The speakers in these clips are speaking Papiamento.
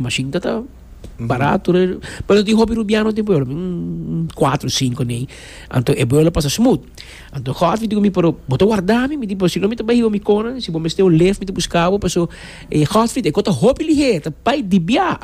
Mashin ta ta barato, pero tin hopi rubiano tin pueblo, un cuatro, cinco nei, anto e pueblo pasa smooth. Anto Godfrey di cu mi, pero bo ta warda mi, mi di, pero si no mi ta bai hiba mi conan, si bo mester un lift mi ta busca bo, paso e Godfrey e cu ta hopi liher, ta bai di bia.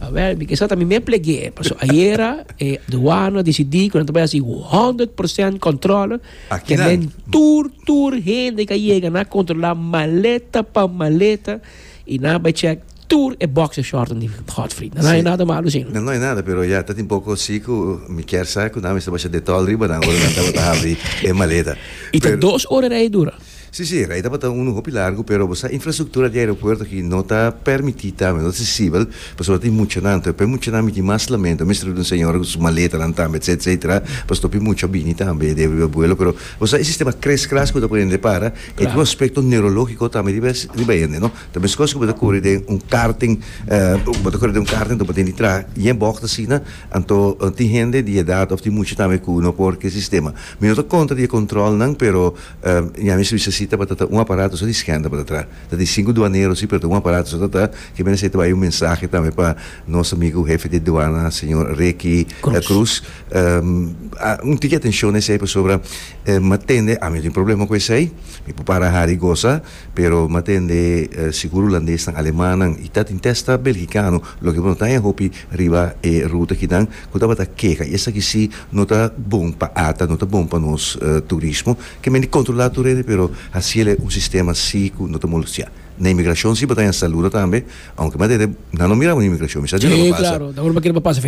Awel, mi kesa ta mi mer plegu'e, paso ayera e douana decidi cu nan ta bai haci hundred per cent controle, tenen tur, tur hende ca yega, nan a controla maleta pa maleta y nan a bai check. Tur e boxer shortnan di Godfrey. Nan hay nada malo sin. No hay nada pero ya ta tin poco si cu mi kier sa cu nan a mester basha Dettol riba nan ora nan tabata habri e maleta. Y ta dos ora rei dura? Si si rei tabata un hopi largu pero bo sa infrastructura di aeropuerto aki no ta permiti tambe no ta accesibel pasobra tin muchanan toe p'e muchanan mi tin mas lamento a mester riba di un señora cu su maletanan tambe etc etc pasobra hopi mucha a bini tambe debe riba vuelo pero bo sa e sistema kres kras cu ta pone hende para y tin un aspecto neurologico tambe riba hende no. Ta meskos ku bo ta kore den un karting, bo ta kore den un karting anto bo tin di traha yen bògt asina, anto tin hende di edat òf tin mucha tambe ku no por ku e sistema. Mi no ta kontra di e kòntròlnan, pero ña mester bisa si tabata ta un aparato so di schènt tabata tra. Ta di sinku duanero si, pero ta un aparato so tabata, ke menester ta bai un mensahe tambe pa nos amigu hefe di duana, señor Ricky Cruz, un tiki atenshon na esei pasobra m'atende, ami no tin problema ku esei, mi por para hari gosa. Pero m'a tende si ku rulandes nan alemannan i ta tin testa belgikano loke bo no ta e hopi riba e ruta kinan ku tabata keha i esaki si no ta bon pa ata no ta bon pa nos turismo ke men di kontrolá tur hende pero hasiel e un sistema si ku no ta molostiá na imigrashon si bo ta ña saluda tambe ounke m'a tende nan no mira bo na imigrashon mi sa di lo lo pasa.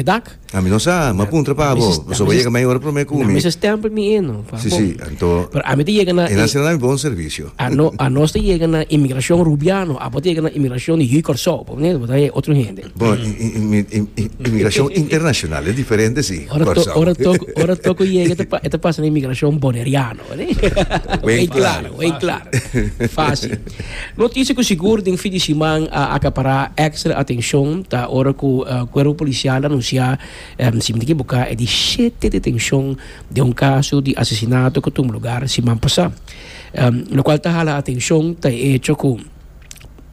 Ami no sa, ma puntra pa bo. Pasobra bo yega mi ora prome ku mi. Na mester stempel mi eno pa bo. Si, si, anto. Pero ami ta yega na. E nan sina na mi bon servisio. Ano, anos ta yega na inmigrashon Rubiano, abo ta yega na inmigrashon di Hui Kòrsou, ponele, bo ta e otro hende. Bo, inmigrashon internashonal e diferente si, Kòrsou. Ora toko, ora toko yega e ta pasa na inmigrashon Boneriano, wei klaro, wei klaro. Fásil. Noticia cu sigur den fin di siman a acapara extra atencion ta ora cu Cuerpo Policial anuncia, si mi ta equivoca, e di shete detencion den un caso di asesinato cu tum lugar siman pasa. Locual ta hala atencion ta e hecho cu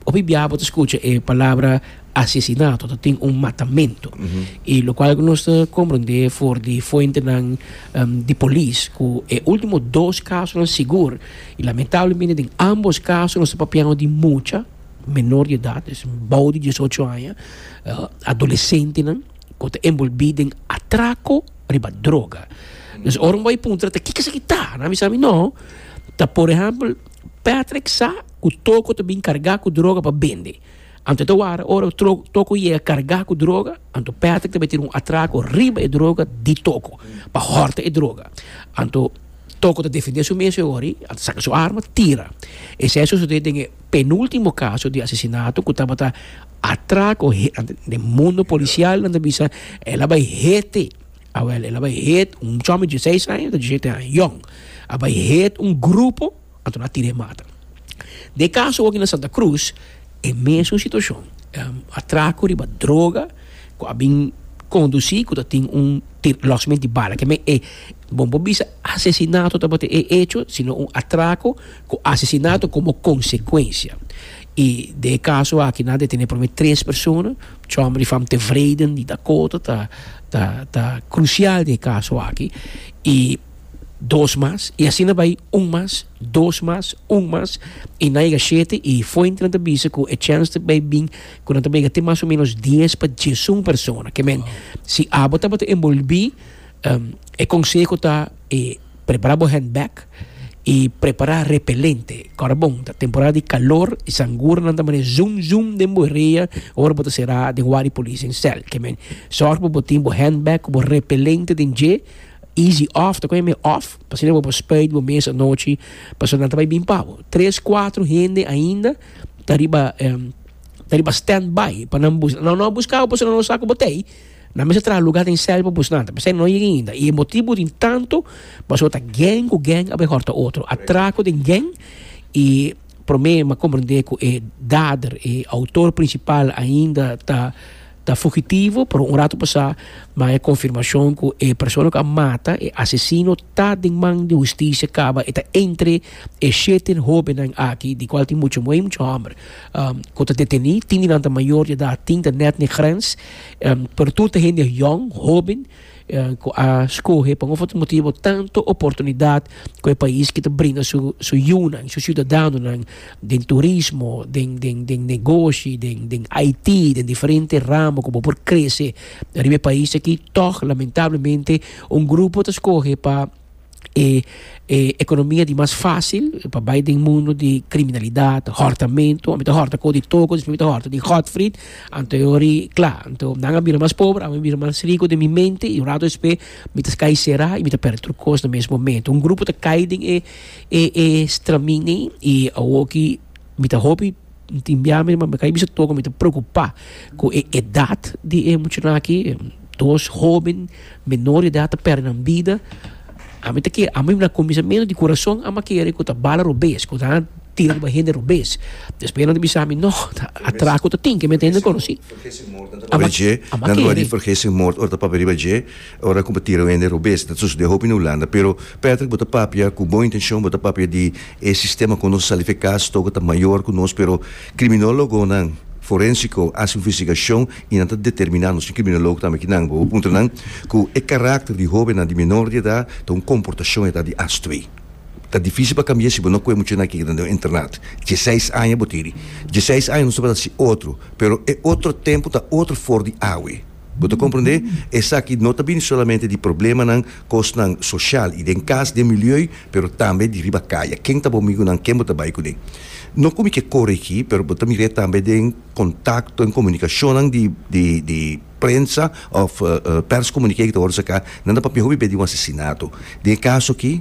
hopi bia bo ta scucha e palabra asesinato ta tin un matamento y locual nos ta comprende for di fuentenan di Polis cu e ultimo dos casonan sigur I lamentablemente den ambos kaso nos ta papiando di mucha menor di edat, des bou di diesocho aña, adolesentenan ku ta enbolbí den atrako riba droga. Dus ora mi bai puntra ta kiko esaki ta? Nan a bisa mi, no, ta por ehèmpel Patrick sa ku Toko ta bin kargá ku droga pa bende. Anto ta wara ora Toko yega kargá ku droga, anto Patrick ta bai tira un atrako riba e droga di Toko pa hòrta e droga. Anto Toko ta defendé su mes e ora, a saka su arma tira. Esei a sosodé den e penúltimo kaso di asesinato ku tabata atrako den mundo polisial nan ta bisa el a bai hete, awèl el a bai het un chòmèn di diseis aña ta disiete aña yòn, a bai het un grupo. Anto nan a tira e mata. Na e kaso aki na Santa Cruz e mesun situashon. Atraku riba droga ku a bin kondusí ku ta tin un lòsment di bala. Ke men e bo bo bisa asesinato tabata e echo sino un atraku ku asesinato komo konsekuensia. I den e kaso aki nan a detené por lo menos tres persona. Chòmber di Fam Tevreden di Dakota ta ta ta krusial den e kaso aki i. dos mas, y asina bay un mas, dos mas, un mas, y nan yega shete, y fuente nan ta bisa cu e chance ta bay bin cu nan ta bay yega te mas o menos dies pa diesun persona, ke men, si abo tabata enbolbi, e conseho ta e prepara bo handbag y prepara repelente, ora bon ta temporada di calor y sangura nan ta mane zoom zoom den bo rea ora bo ta sera den wak di policia en cel, ke men, zorg pa bo tin bo handbag cu bo repelente den dje. Easy off ta koe mi off pasobra bo por speid bo mes anochi pasobra nan ta bai bin pa bo tres cuatro hende ainda ta riba ta riba stand by pa nan bus nan no a buska bo pasobra nan no sa ku bo ta ei nan mester traha luga den sel pa busnan ta p'esei nan no yega ainda i e motibu tin tanto pasobra ta geng ku geng a bai hòrta otro atrako den geng i prome m'ha komprende ku e dader e outor principal ainda ta Ta fugitivo, pero un ratu pasá maya konfirmashon ku e persona ku a mata e asesino ta den man di hustisia kaba e ta entre e shete hóbennan aki di kual tin mucha muhé i mucha hòmber ku ta detení. Tin di nan ta mayor di edat, tin ta nèt na e grens, pero tur ta hende yòn, hóben. cu a scoge pa un of otro motibo tanto oportunidad cu e pais ki ta bringa su su yunan, su ciudadanonan den turismo, den den den negoshi, den den IT, den diferente ramo cu bo por crece riba e pais aki, tog lamentablemente un grupo ta scoge pa. e e economia di mas facil pa bay den mundo di criminalidad hortamento ami ta horta con di toco despues mi ta horta di godfrid anteriori cla anto nan a bira mas pobre ami a bira mas rico den mi mente y un rato despues mi ta cay cera y mi ta perde tur cos na mes momento un grupo ta cay den e e e straminey y awoki mi ta hopi Mi tin bia mi mama ka bisa toko mi ta preocupa cu e edad di e muchanan aki dos hoben menor de edad ta perde nan bida ami ta kere ami na cuminsamentu di corazon ami a kere cu ta bala robes cu nan a tira riba hende robes despues nan a bisa mi no ta atraco ta tin ke mi ta hende conoci ami a kere. Ora ku bo tira un hende robes, ta sosodé hopi na Hulanda. Pero, Patrick, bo ta papia ku bon intenshon, bo ta papia di e sistema ku nos a sali fe kas tok e ta mayor ku nos, pero kriminólogonan forensiko a hasi un investigashon i nan ta determiná, nos tin kriminolog tambe aki nan, bo por puntra nan ku e karakter di hóbennan di menor di edat ta un komportashon eta di as twee. Ta difísil pa kambi'é si bo no kue mucha nan keda den un internat. Dieseis aña bo tin. Dieseis aña nos tabata hasi otro, pero e otro tempu ta otro for di awe. Bo ta komprendé? Esaki no ta bini solamente di problemanan, kosnan soshal i den kas, den milieu, pero tambe di riba kaya. Ken ta bo migunan? Ken bo ta bai kuné? No komo i ke kore akí, pero bo ta mir'é tambe den kontakto, den komunikashonnan di, di, di prensa òf pèrskommuniké ku ta wòrdu saká, nan ta papia hopi bes di un asesinato. Den e kaso akí.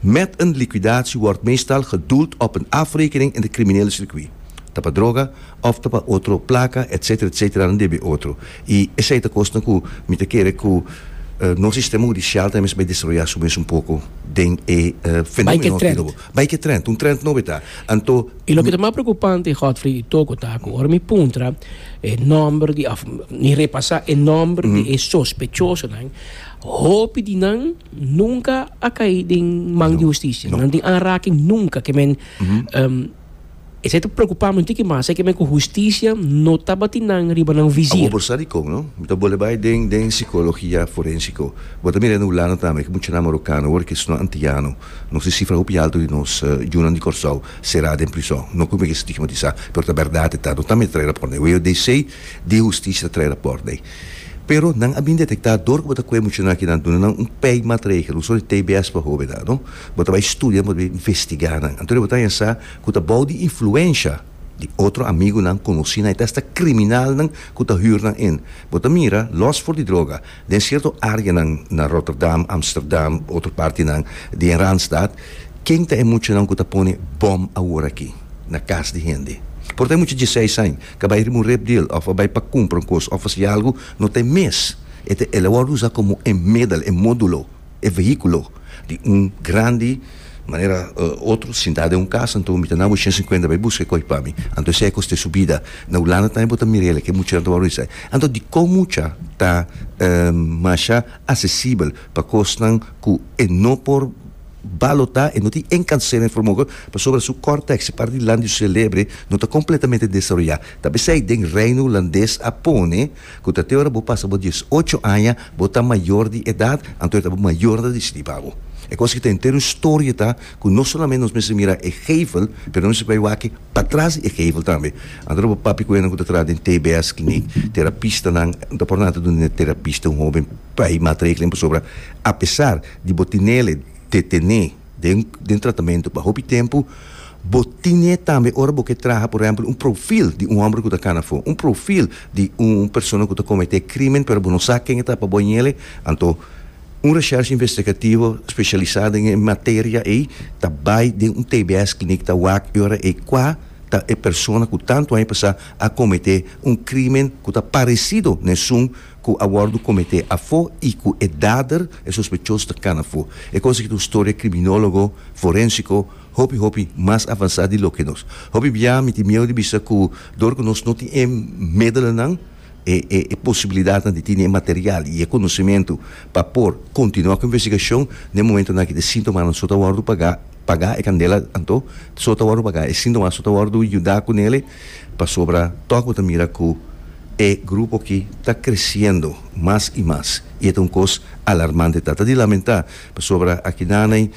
Met een liquidatie word meestal gedoeld op een afrekening in de criminele circuit, ta pa droga of ta pa otro placa etc etc nan debe otro y esey ta cosnan cu mi ta kere cu nos sistema hudicial ta mester bay desarrolla su mes un poco den e fenomeno aki lobo bay ke trend, un trend nobe ta anto. Y loke ta mas preocupante Godfrey y Toco ta cu ora mi puntra e nomber di of mi repasa e nomber di e sospechosonan hopi di nan. Nunka a kai den man di hustisia. No. Nan tin aanraking nunka ke men em, esei ta preocupa mi un tiki mas, esei ke men ku hustisia no tabatin nan riba nan Abo visir. por sa di kon, no? Mi ta bole bai den den psikologia forensiko. Bo ta mira den Hulanda tambe, ke muchanan marokano wòrdu kis no antiano. Nos tin sifra hopi alto di nos yunan di Kòrsou será den prison. No ku mi ke stigmatisá, pero ta bèrdat e ta. No tambe ta trae rapòrt dei. Wei o dei sei di hustisia ta trae rapòrt dei. Pero nan a bin detektá dor ku bo ta kue muchanan aki nan duna nan un pei matregel, uso di tbs pa hobe nan, no? Bo ta bai studia en bo ta bai investigá nan. Anto di bo ta yensá ku ta bou di influensha di otro amigu nan, konosí nan i ta asta kriminal nan ku ta hür nan en. Bo ta mira, lòs for di droga, den sierto área nan na Rotterdam, Amsterdam, otro parti nan di den Randstad, ken ta e muchanan ku ta pone bòm aworakí na kas di hende? Por ta e mucha diesseis aña, Ka bai ri murep di el, òf bai pa kumpra un kos, òf hasi algu, no ta e mes. E ta el a wòrdu usá komo e medel, e módulo, e vehíkulo di un grandi manera otro sintá den un kas, anto mi ta na bo shen sinkuenta bai buska e kòi pa mi. Anto esei e kos ta e subida. Na Hulanda tambe bo ta mira elei, ke muchanan ta wòrdu di esei. Anto dikon mucha ta masha asesibel pa kosnan ku e no por. Balota e no tin e nkansera en formoge pasobra su kòr tèksi par di landiu selebre no ta kompletamente desaroyá. Ta p'esei den Reino Hulandes a pone ku ta te ora bo pasa bo dies ocho aña bo ta mayor di edat, anto e ta bo mayor ta disidí pa bo. E kos ku ta henter un storie ta ku no solamente nos mester mira e geivel pero nos mester bai wak patras di e geivel tambe. Anto nan bo papia ku hende ku ta traha den TBS Kliniek, terapistanan, nan ta por nan ta duna den e terapista un hóben bai matregelen pasobra apesar Di bo tinele te tene den den tratamento pa hopi tempu, bo tine tambe ora bo ke traha por ehempel un profil di un homber ku ta kana afo, un profil di un persona ku ta komete krimen pero bo no sa ken e ta pa bo añele, anto un reshershe investigativo speshialisa den e materia ei ta bai den un tbs klinik ta wak e ora ei kua ta e persona ku tantu aña pasá a komete un krimen ku ta paresido nesun ku a wòrdu kometé afó i ku e dader, e sospechos, ta kana afó. E kos aki ta un storia kriminólogo, forensiko, hopi hopi mas avansá di loke nos. Hopi bia mi tin mieu di bisa ku dor ku nos no tin e medelanan, e e posibilidatnan di tene e material i e konosementu pa por kontinuá ku investigashon, n'e momentonan aki e sintomanan so ta wòrdu pagá, pagá e kandela, anto so ta wòrdu pagá, e sintomanan so ta wòrdu yuda ku nele. Pasobra tòg bo ta mira ku e grupo aki ta kresiendo mas i mas i e ta un kos alarmante. Ta ta di lamentá pasobra akinaney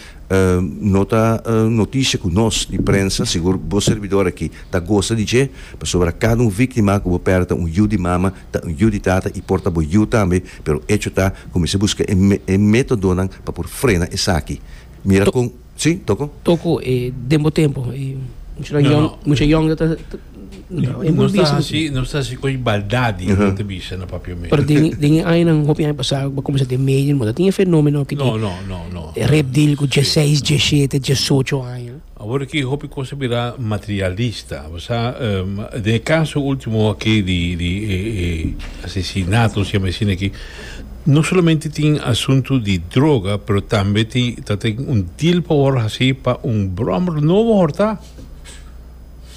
no ta notishi ku nos di prensa. Sigur bo serbidor aki ta gosa di dje pasobra kada un víktima ku bo pèrdè ta un yu di mama, ta un yu di tata i por ta bo yu tambe, pero echo ta ku mester buska e métodonan pa por frena esaki. Mira kon. Si, toko. Toko e den bo tempo e muchanan No, no. yong, mucha yong ta, ta, ta e Nos ta burbisa. hasi, nos ta hasi coy baldadi, Ujú. ta bisa na papia Pero medio. den, den e añanan, hopi aña pasá, bo comensa den medio, bo ta tin e fenomeno aki No, di no, no, no. repdil ku Si, 16, no. 17, 18 aña. Awor aki hopi cos a bira materialista. Bo sa, em, den e caso ultimo aki di, di e, e asesinato, si a mensiona aki, No solamente tin asuntu di droga pero tambe tin ta tin un deal por wòrdu hasí pa un bròmer nobo hòrtá.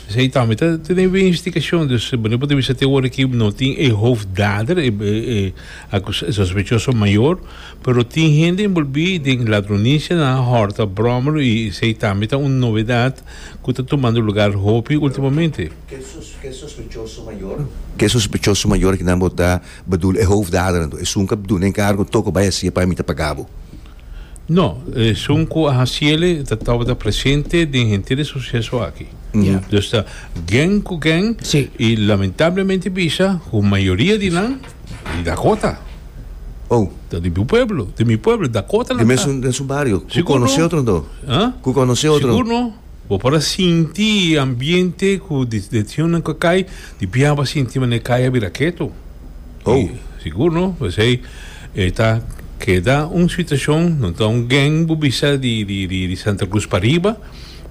Esei tambe ta tene un investigashon, dus bo no por ta bisa te ora aki no tin e hoofddader, e e acus e sospechoso mayor, pero tin hende enbolbí den ladronishanan, hòrta, bròmer i esei tambe ta un novedad ku ta tumando lugar hopi últimamente. Ke sospechoso mayor? Ke sospechoso mayor kinan bo ta. Bedoel e hoofdaderen to esun ka duna encargo toko bay hacié pa ami ta paga bo? No, esun cu a haciele ta tabata presente den henter e suceso aki. Dus ta gen cu gen y lamentablemente bisa cu mayoria di nan di Dakota. Oh. Ta di bo pueblo, di mi pueblo, Dakota nan ta. Di mesun den su bario. Sigur no. Cu conoce otro nan to? Sigur no. Bo por a sinti e ambiente cu di decisionnan cu a cay, di bia bo a sinti manera cay a bira keto. Y Oh. sigur no, pesey e ta keda un situacion, no ta un gang bo bisa di di di di Santa Cruz pariba,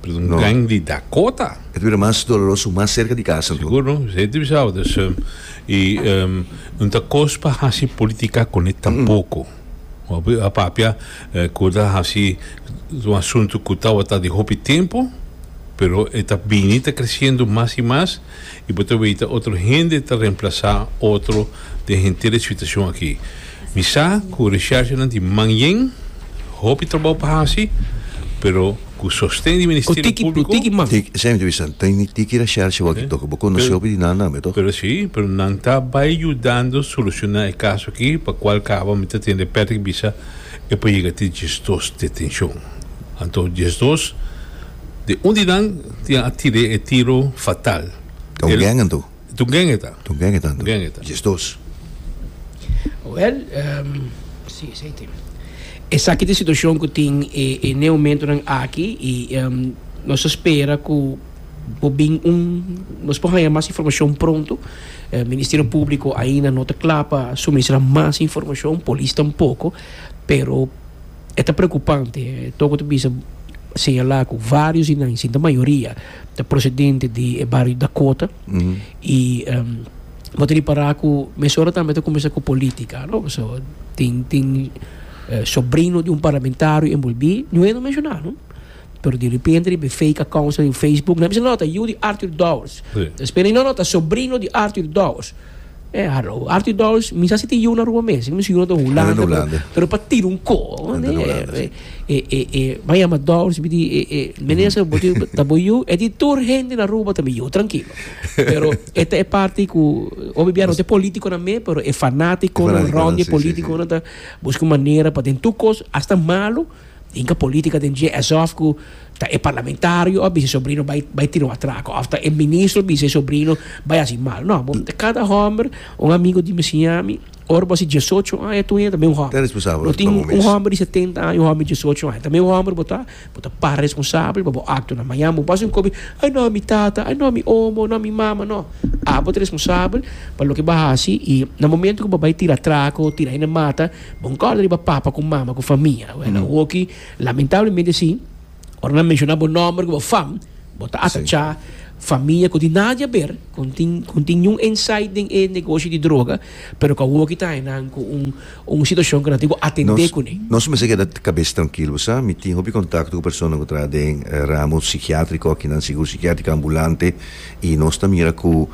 pero ta un No. gang di Dakota. E ta bira mas doloroso mas cerca di casa anto. Sigur no, pesey e ta bisa bo. Dus, em, y em, no ta cos pa haci politica cune tampoco. Hopi a papia cu ta haci un asunto cu tawata di hopi tempo, pero e ta bini ta creciendo mas y mas y bo ta weta otro hende ta reemplaza otro den henter e situacion aki. Mi sa cu recherchanan di manjen hopi trabaho pa haci, pero Ku sosten di Ministerio Públiko. Ku tiki, tiki man. Esei entrevista ta ini tiki ra Shershi wak i toka bo konosé opi di nan nan be, tòg? Pero sí, pero nan ta bai yudando solushoná e kaso akí pa kual kaba mi ta tende Patrick bisa e por yega te diesdos detenshon. Anto diesdos den un di nan tin a tir'é e tiro fatal. Ta un gang anto? Toen geng e ta. Toen geng e tanto. Geng e ta. Yes dos. Wel, um, si, esei tin. Esaki tin situashon ku tin e, e neomentonan aki i um, nos ta spera ku por bin un, nos por haña mas informashon pronto. E Ministerio Públiko ainda no ta kla pa suministrá mas informashon, polis tampoko, pero e ta preokupante. Toko ta bisa, señalá ku vários di nan, sinta mayoria, ta procedente di e bario Dakota y bo ta repará cu mesora tambe ta cuminsá cu politica, no? So, tin, tin sobrino di un parlamentario envolbí, no hend'e mencioná, no? Pero di repente riba e fake accounts den Facebook nan a bisa, no, ta yiu di Arthur Dowers. Despues nan a bisa, no, no, ta sobrino di Arthur Dowers. Eh, hallo. Arthur Dawes, mi sa si tin yiu na Aruba mes. Mi si yiu na den Hulanda. Den Hulanda. Pero pa tira un ko. Den Hulanda, si. E, e, e, m'a yama Dawes, mi di, e, e, meneer Seba, bo tin, ta bo yiu? E di, tur hende na Aruba ta mi yiu, trankilo. Pero e ta e parti ku, obe bia no ta e politikonan me, pero e fanatikonan, E fanatikonan, rònt di e si, si, si. politikonan ta buska manera pa den tur kos, asta malu, Inca politica den dje esof cu ta e parlamentario a bisa e sobrino bay bay tira un atraco of ta e ministro bisa e sobrino bay haci mal no bo ta cada homber un amigo di mi siñami ora bo haci diesocho aña tu enta tambe un homber no tin un homber di setenta aña un homber di diesocho aña tambe un homber bo ta bo ta para responsable pa bo actonan mañana bo haci un cosa ay no mi tata ay no mi omo no mi mama no abo ta responsable pa loke bo haci y na momento cu bo bay tira atraco tira hende mata Bon kòrda riba papa ku mama ku famia. Wèl, awoki, lamentablemente sí, ora nan menshoná bo nòmber ku bo fam, bo ta atachá famia ku tin nada di aber, ku no tin, ku no tin niun insight den e negoshi di droga, pero ku awoki ta haña nan ku un, un situashon ku nan tin ku atendé kuné. Nos, nos mester keda kabes trankil, bo sa. Mi tin hopi kontakto ku personanan ku traha den ramo sikiátriko aki, nan sigur sikiátriko ambulante, i nos ta mira ku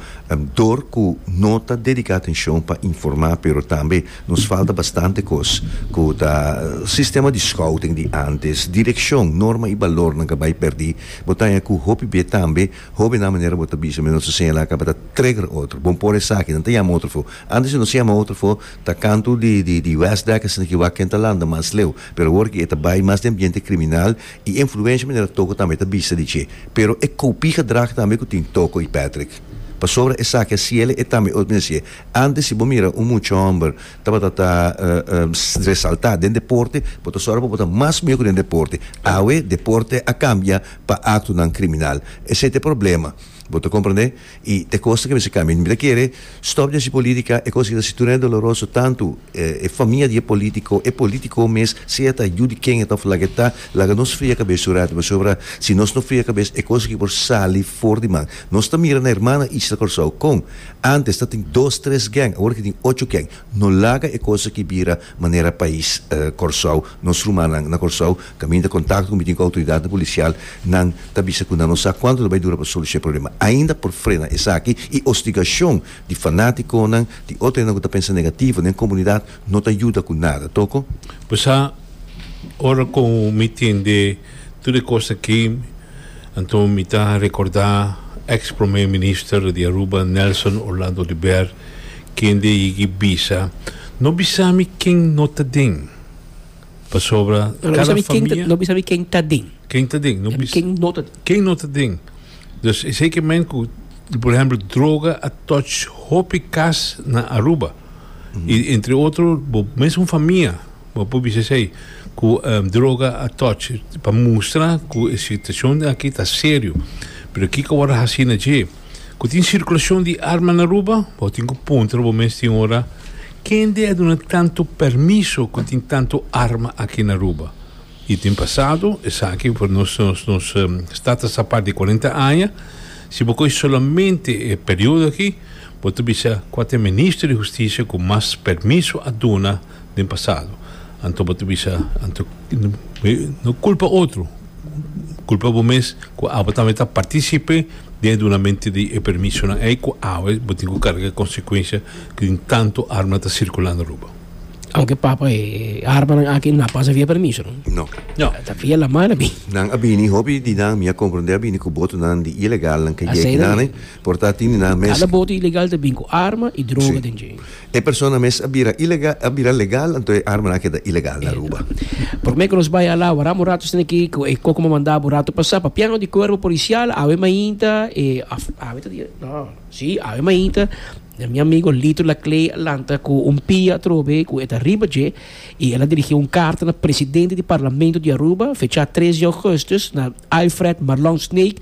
dor ku no ta dediká atenshon pa informá, pero tambe Nos falta bastante kos ku ta sistema di scouting di antes, direkshon, norma i balornan ka bai pèrdí. Bo ta haña ku hopi bia tambe hóbennan manera bo ta bisa mi nos a señalá tabata trigger otro. Bon por esaki, nan ta yama otro afó. Antes si nos a yama otro afó ta kantu di di di West Dek asina ki wak ken ta landa mas leu. Pero awor ki e ta bai mas den ambiente kriminal i influensha manera toko tambe ta bisa di dje. Pero e koupí gedrag tambe ku tin toko i Patrick. Pasobra esaki a siela e tambe otro manera sié. Antes si bo mira un mucha homber tabata ta resalta den deporte bo ta sora pa bo ta mas mihó ku den deporte awe deporte a kambia pa aktonan kriminal esei ta e problema bo ta komprende i ta e kos ta kebesa kambia mi ta kere stòp di hasi politika e kos ki ta hasi tur doloroso tantu e famia di e politiko e politiko mes sea ta yu di kenga ta òf lak e ta laga nos fria kabes un ratu pasobra si nos no fria kabes e kos aki por sali for di man nos ta mira na hermana Ichla Kòrsou kon Antes ta tin dos tres geng, awor aki tin ocho geng. No laga e cos aki bira manera pais Corsou. Nos rumannan na Corsou caminda contacto cu mi tin cu autoridadnan policial, nan ta bisa cu nan no sa cuanto lo bay dura pa soluciona e problema. Ainda por frena esaki y hostigacion di fanaticonan, di otro hende cu ta pensa negativo den comunidad no ta yuda cu nada, toko. Pasa, ora cu mi tin de. Tur e kos akí, anto mi ta rekordá èks promé minister di Aruba, Nelson Orlando Libert, kende a yeg'i bisa, No bisa mi ken no ta den, pasobra kada famia. No bisa mi ken ta den. Ken ta den. En ken no ta den. Ken no ta den. Dus esei ke men ku, por ehèmpel, droga a touch hopi kas na Aruba. I entre otro bo mes un famia Bo por bisa esei cu droga a touch pa mustra cu e situacion aki ta serio. Pero kico word a haci na dje? Cu tin circulacion di arma na Aruba? Bo tin cu puntra bo mes tin ora, Kende a duna tanto permiso cu tin tanto arma aki na Aruba? Y tin pasado, esaki for nos nos stad ta sa part di cuarenta aña, si bo coge solamente e periodo aki, bo ta bisa cua ta e Minister di Husticia cu mas permiso a duna, den pasado anto bo ta bisa anto no culpa otro culpa bo mes cu abo tambe ta participe den e dunamento di e permisonan ey cu awe bo tin cu carga e consecuencia tin tanto arma ta circulando Aruba. Anke papa e armanan aki no a pasa via permisonan? No. Ta via laman a bini. Nan a bini hopi di nan mi a comprende a bini cu botonan di ilegalnan ke yeki nan ey. Por ta tin di nan mes. Ala bote ilegal ta bin ku arma i droga den dje. E persona mes a bira ilegal, a bira legal, anto e armanan a keda ilegal na Aruba. Promé ku nos bai ala, wak amo rato stende aki ku e koko mamandá bo rato pasá pa piano di kuerpo polisial awe mainta, e af, awe ta dia? No, si, awe mainta, na mi amigo Lito Laclay a lanta ku un pia atrobe ku e ta riba dje i el a dirigí un karta na presidente di parlamento di Aruba, fechá tres di ougùstus, na Alfred Marlon Snake,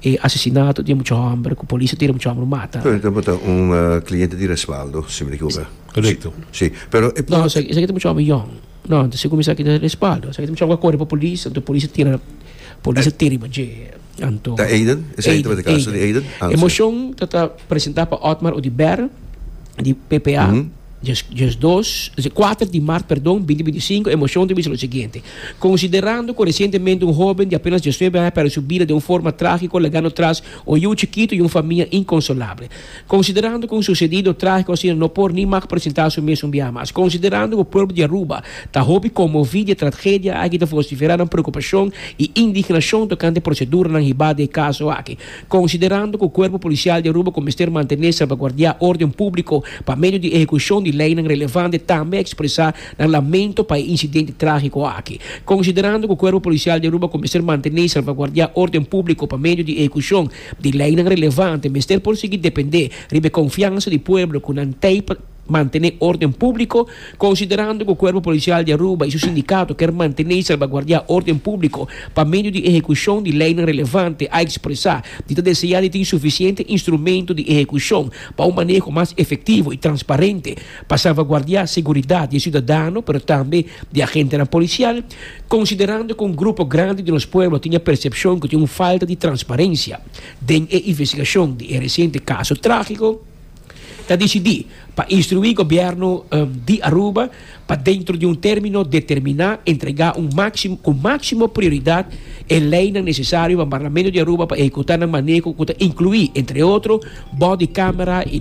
E asesinato di e mucha homber ku polis a tira mucha homber mata. Pero bo ta un kliente di Resvaldo, si mi no ekioka. Korekto. Si, pero e. No, esaki ta mucha homber yòn. No, ta segun mi esaki ta Resvaldo. Esaki ta mucha homber ku a kore pa polis, anto polis a tira polis a tira riba dje, anto. Ta Aiden? Esaki tabata e kaso di Aiden? Aiden. E moshon ta ta presentá pa Otmar Oduber di PPA. Diasdos, kuater di mart, perdon, binti binti sinku, Emoshon ta bisa lo siguiente, Konsiderando ku resientemente un hóben di apenas diasnuebe aña a pèrdè su bida den un forma trágiko legando tras un yu chikitu i un famia inkonsolable. Konsiderando ku un susedido trágiko asina no por ni mak presentá su mes un biaha mas. Konsiderando ku pueblo di Aruba ta hopi konmoví di e tragedia aki ta vosiferá nan preokupashon i indignashon tokante proseduranan hibá di e kaso aki. Konsiderando ku Kuerpo Polisial di Aruba ku mester mantené salvaguardiá órden públiko pa medio di ehekushon di leinan relevante tambe a ekspresá nan lamento pa e insidente trágiko aki. Konsiderando ku Kuerpo Polisial di Aruba ku mester mantené i salvaguardiá órden públiko pa medio di ehekushon di leinan relevante mester por sigui dependé riba e konfiansa di pueblo ku nan tei pa Mantené órden públiko, Konsiderando ku Kuerpo Polisial di Aruba i su sindikato ker mantené i salbaguardiá órden públiko pa medio di ehekushon di leinan relevante, a ekspresá di ta deseá di tin sufisiente instrumentu di ehekushon pa un maneho mas efektivo i transparente pa salvaguardiá seguridat di e siudadano pero tambe di agentenan polisial. Konsiderando ku un grupo grandi di nos pueblo tin e persepshon ku tin un falta di transparensia den e investigashon di e resiente kaso trágiko, ta disidí pa instruí Gobièrnu di Aruba pa dentro di un término determiná entregá ku máksimo prioridat e leinan nesesario pa Parlamento di Aruba pa ehekutá nan maneko ku ta inkluí, entre otro, bòdi kámara i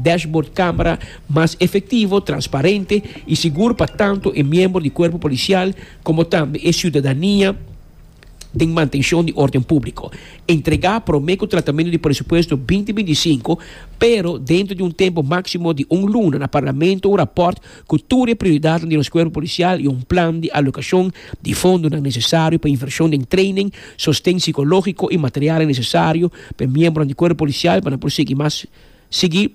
dashbord kámara mas efektivo, transparente i sigur pa tantu e miembro di kuerpo polisial komo tambe e siudadania. den mantenshon di órden públiko, entregá promé ku tratamentu di presupuesto binti binti i sinku, pero dentro di un tempu máksimo di un luna na Parlamento un rapòrt ku tur e prioridatnan di nos kuerpo polisial i un plan di alokashon di fondonan nesesario pa invershon den treinen, sosten sikológiko i materialnan nesesario pa e miembronan di kuerpo polisial pa nan por sigui mas sigui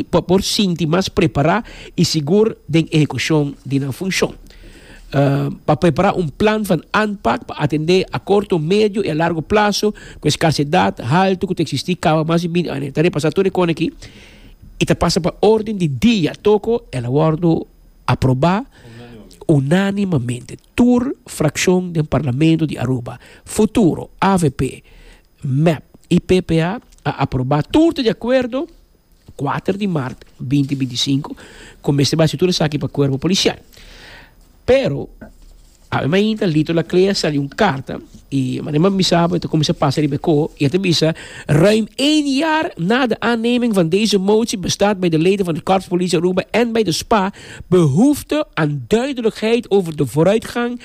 pa por sinti mas prepará i sigur den ehekushon di nan funshon. Pa prepará un plan van aanpak pa atendé a korto, medio i a largo plaso ku e skarsedat haltu ku ta eksistí kaba mas di binti ane ta repasá tur e kona aki i ta pasa pa órden di dia toko el a wòrdu aprobá unánimamente. Tur frakshon den Parlamento di Aruba, Futuro, avp, Mep i ppa a aprobá tur di akuerdo kuater di mart binti binti i sinku ku mester basi tur esaki pa kuerpo polisial. Pero awe mainta Lito Laclé a sali un karta i manera mi sa bo e ta kuminsá pasa riba e ko i e ta bisa, Ruim één jaar na de aanneming van deze motie bestaat bij de leden van het Korps Politie Aruba en bij de spa behoefte aan duidelijkheid over de vooruitgang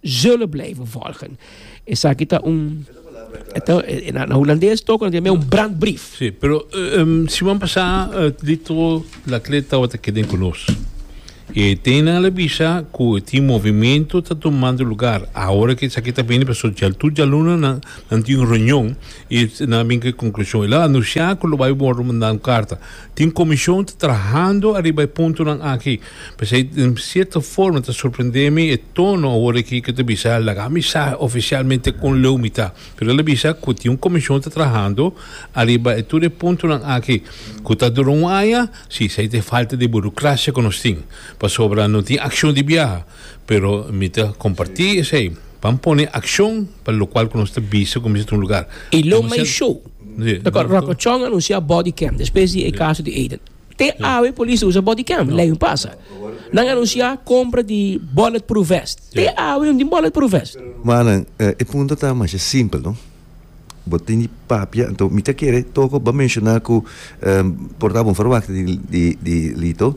zullen blijven volgen. Esaki ta un na Hulandes toko na un brandbrief. Sí, pero um, siman pasá uh, dito la klet tabata keden ku nos. E tena la bisa ku ti movimento ta tomando lugar. Ahora ke esaki ta bini paso jal tu jaluna nan nan tin un reunion i nan bin ke konklushon. La anunsha ku lo bai wordo manda un karta. Tin komishon ta trahando ariba e puntonan aki. P'esei di un sierto forma ta sorprendé mi e tono awor aki ku ta bisa laga mi sa ofisialmente kon leu mi ta. Pero el a bisa ku tin un komishon ta trahando ariba e tur e puntonan aki ku ta dura un aña. Si, esei ta e falta di burokrasia ku nos tin, pasobra no tin akshon di biaha. Pero mi ta kompartí esei. Ban pone akshon pa lokual ku nos ta bisa ku mi sa ta un lugar. E Lo Mei Show ta kòrda Ròkòchòn anunsiá bòdi kèm, despues di e kaso di Aiden. Te awe polis usa body cam, lei un pasa nan anuncia compra di bullet proof vest, te awe un tin bullet proof vest. Manan, e punto ta masha simpel no. Bo tin di papia, anto mi ta kere toca bo menciona cu por ta bon verwachting di di di Lito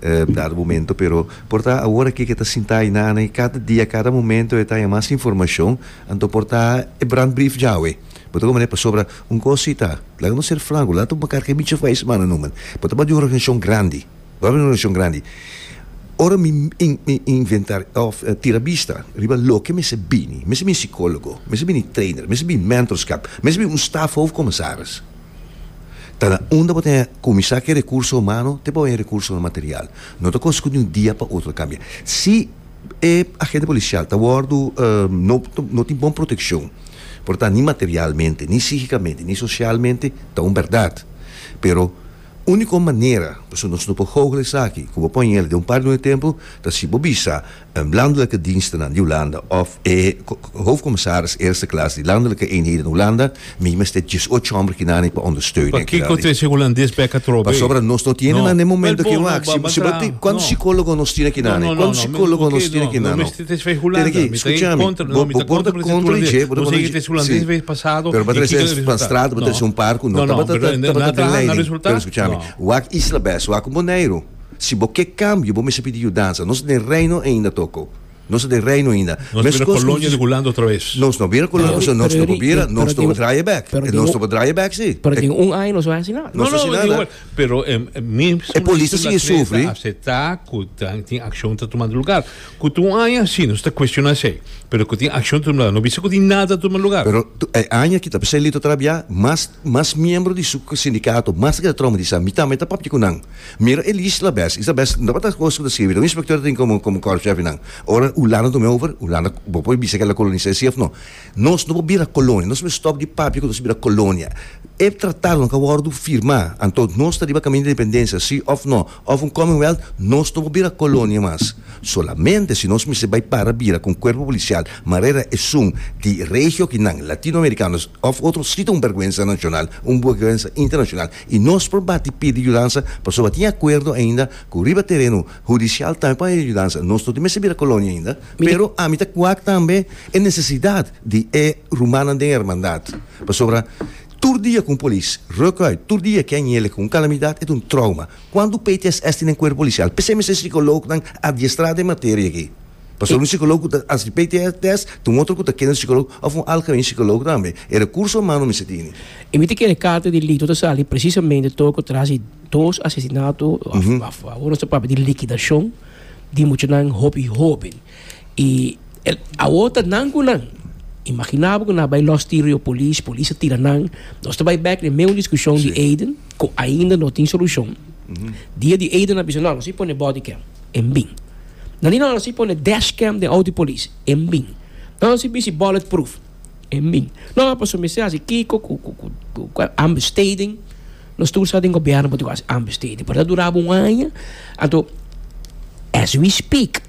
dado momento, pero por ta awor aki cu e ta sinta aina ana y cada dia, cada momento e ta haya mas informacion, anto por ta e brandbrief djawe. Bo ta kome pasobra un kos si ta, laga nos ser franko, laga nos makar ke bichi fai smana no man. Bo ta bai di un organishashon grandi, bo ta bai di un organishashon grandi. Ora mi inventar of tira bista riba loke mester bini, mester bini sikologo, mester bini trainer, mester bini mentorskap, mester bini un staf hoof komesaris. Ta na unda bo ta kuminsá ke rekurso humano te bo haya rekurso material. No ta kos ku di un dia pa otro a kambia. Si. E agente policial ta wordo no tin bon proteccion por ta ni materialmente ni psichicamente ni socialmente ta un berdad pero unico manera pasobra nos no por hoogel esaki cu bo ponel den un par de luna de tempo ta si bo bisa landelijke dienstenan di Hulanda of e hoofdcommissaris eerste klas di landelijke eenheden Hulanda Mi mester djes ocho homber ki nani pa ondersteunen. Pakiko trece hulandes pa e katrobe? Pasobra nos no tiene nan e momento ki wak. Si bo a tin, kuantu sikologo nos tin aki nani? Kuantu sikologo nos tin aki nan? No. Ten aki, skucha mi, bo por ta kontra di dje, bo ta kontra di dje. Si, pero bo ta trese pan strat, bo ta trese un par ku no tabata den leiding. Pero skucha mi, wak Isla Bes, wak ku Boneiru, si bo ke kambio, bo mester pidi yudansa. Nos den Reino ainda toko. Nos ta den reino ainda. Nos ta bira kolonia di Hulanda otravez. Nos no bira kolonia, pasobra nos no por bira, nos no por draaie bek. E nos no por draaie bek si. Pero den un aña nos no a hasi nada. Nos no a hasi nada. Pero mi E polis ta sigui sufri. Atreve ta asepta cu nan tin accion ta tuma lugar. Cu tin un aña si, nos ta cuestiona esey. Pero cu tin accion ta tuma lugar. No bisa cu tin nada ta tuma lugar. Pero e aña ki ta pasa Lito a trabia, mas, mas miembro di su sindicato mas ta keda traumatisa. Mi tambe ta papia cu nan. Mira e lis la bes. Isa bes no tabata kos ku ta skirbi. Ta un inspektor tin komo komo kòrpshèf i nan. Ora Ulanda tum'e over, Ulanda bo por bisa ke el a kolonis'é si òf no. Nos no por bira kolonia. Nos mester stòp di papia ku nos a bira kolonia. E tratadonan ka wòrdu firmá. Anto nos ta riba kaminda di independensia si òf no. Òf un commonwealth nos no por bira kolonia mas. Solamente si nos mester bai para bira ku un kuerpo polisial manera esun di regio kinan, latinoamerikanos òf otro si ta un bèrgwensa nashonal, un bèrgwensa internashonal. I nos por bati pidi yudansa pasobra tin akuerdo ainda ku riba tereno hudisial tambe por haya yudansa. Nos no tin mester bira kolonia ainda, pero ami ta kuak tambe e nesesidat di e rumannan den e hermandat. Pasobra tur dia ku un polis ruk uit, tur dia ke a nyele ku un kalamidat, e ta un trouma. Kuantu PTSS tin den kuerpo polisial? P'esei mester e sikolognan adiestrá den e materia aki. Pasobra un shikòlòg ku ta hasi PTSD, ta un otro ku ta kende un shikòlòg òf un alkamin shikòlòg tambe. E rekurso humano mester tene. E miti kende karta di Lito ta sali presisamente tor ku tras di dos asesinato awor nos ta papia di likidashon di muchanan hopi hoben. I e awor ta nan ku nan. Imaginá bo ku nan a bai lòs tiro yo polis, polis a tira nan. Nos ta bai bèk na e meun discushon di Aiden ku ainda no tin solushon. Dia di Aiden a bisa, No, nos a pone body cam en bin. Nan di nan hasi pone dashcam den auto di polis, e min. Nan hasi bici bulletproof, e min. No ha paso mester hasi kiko cu cu ambesteding. Nos tur sa den gobierno bo tin cu hasi ambesteding pero ta duraba un aña. Anto as we speak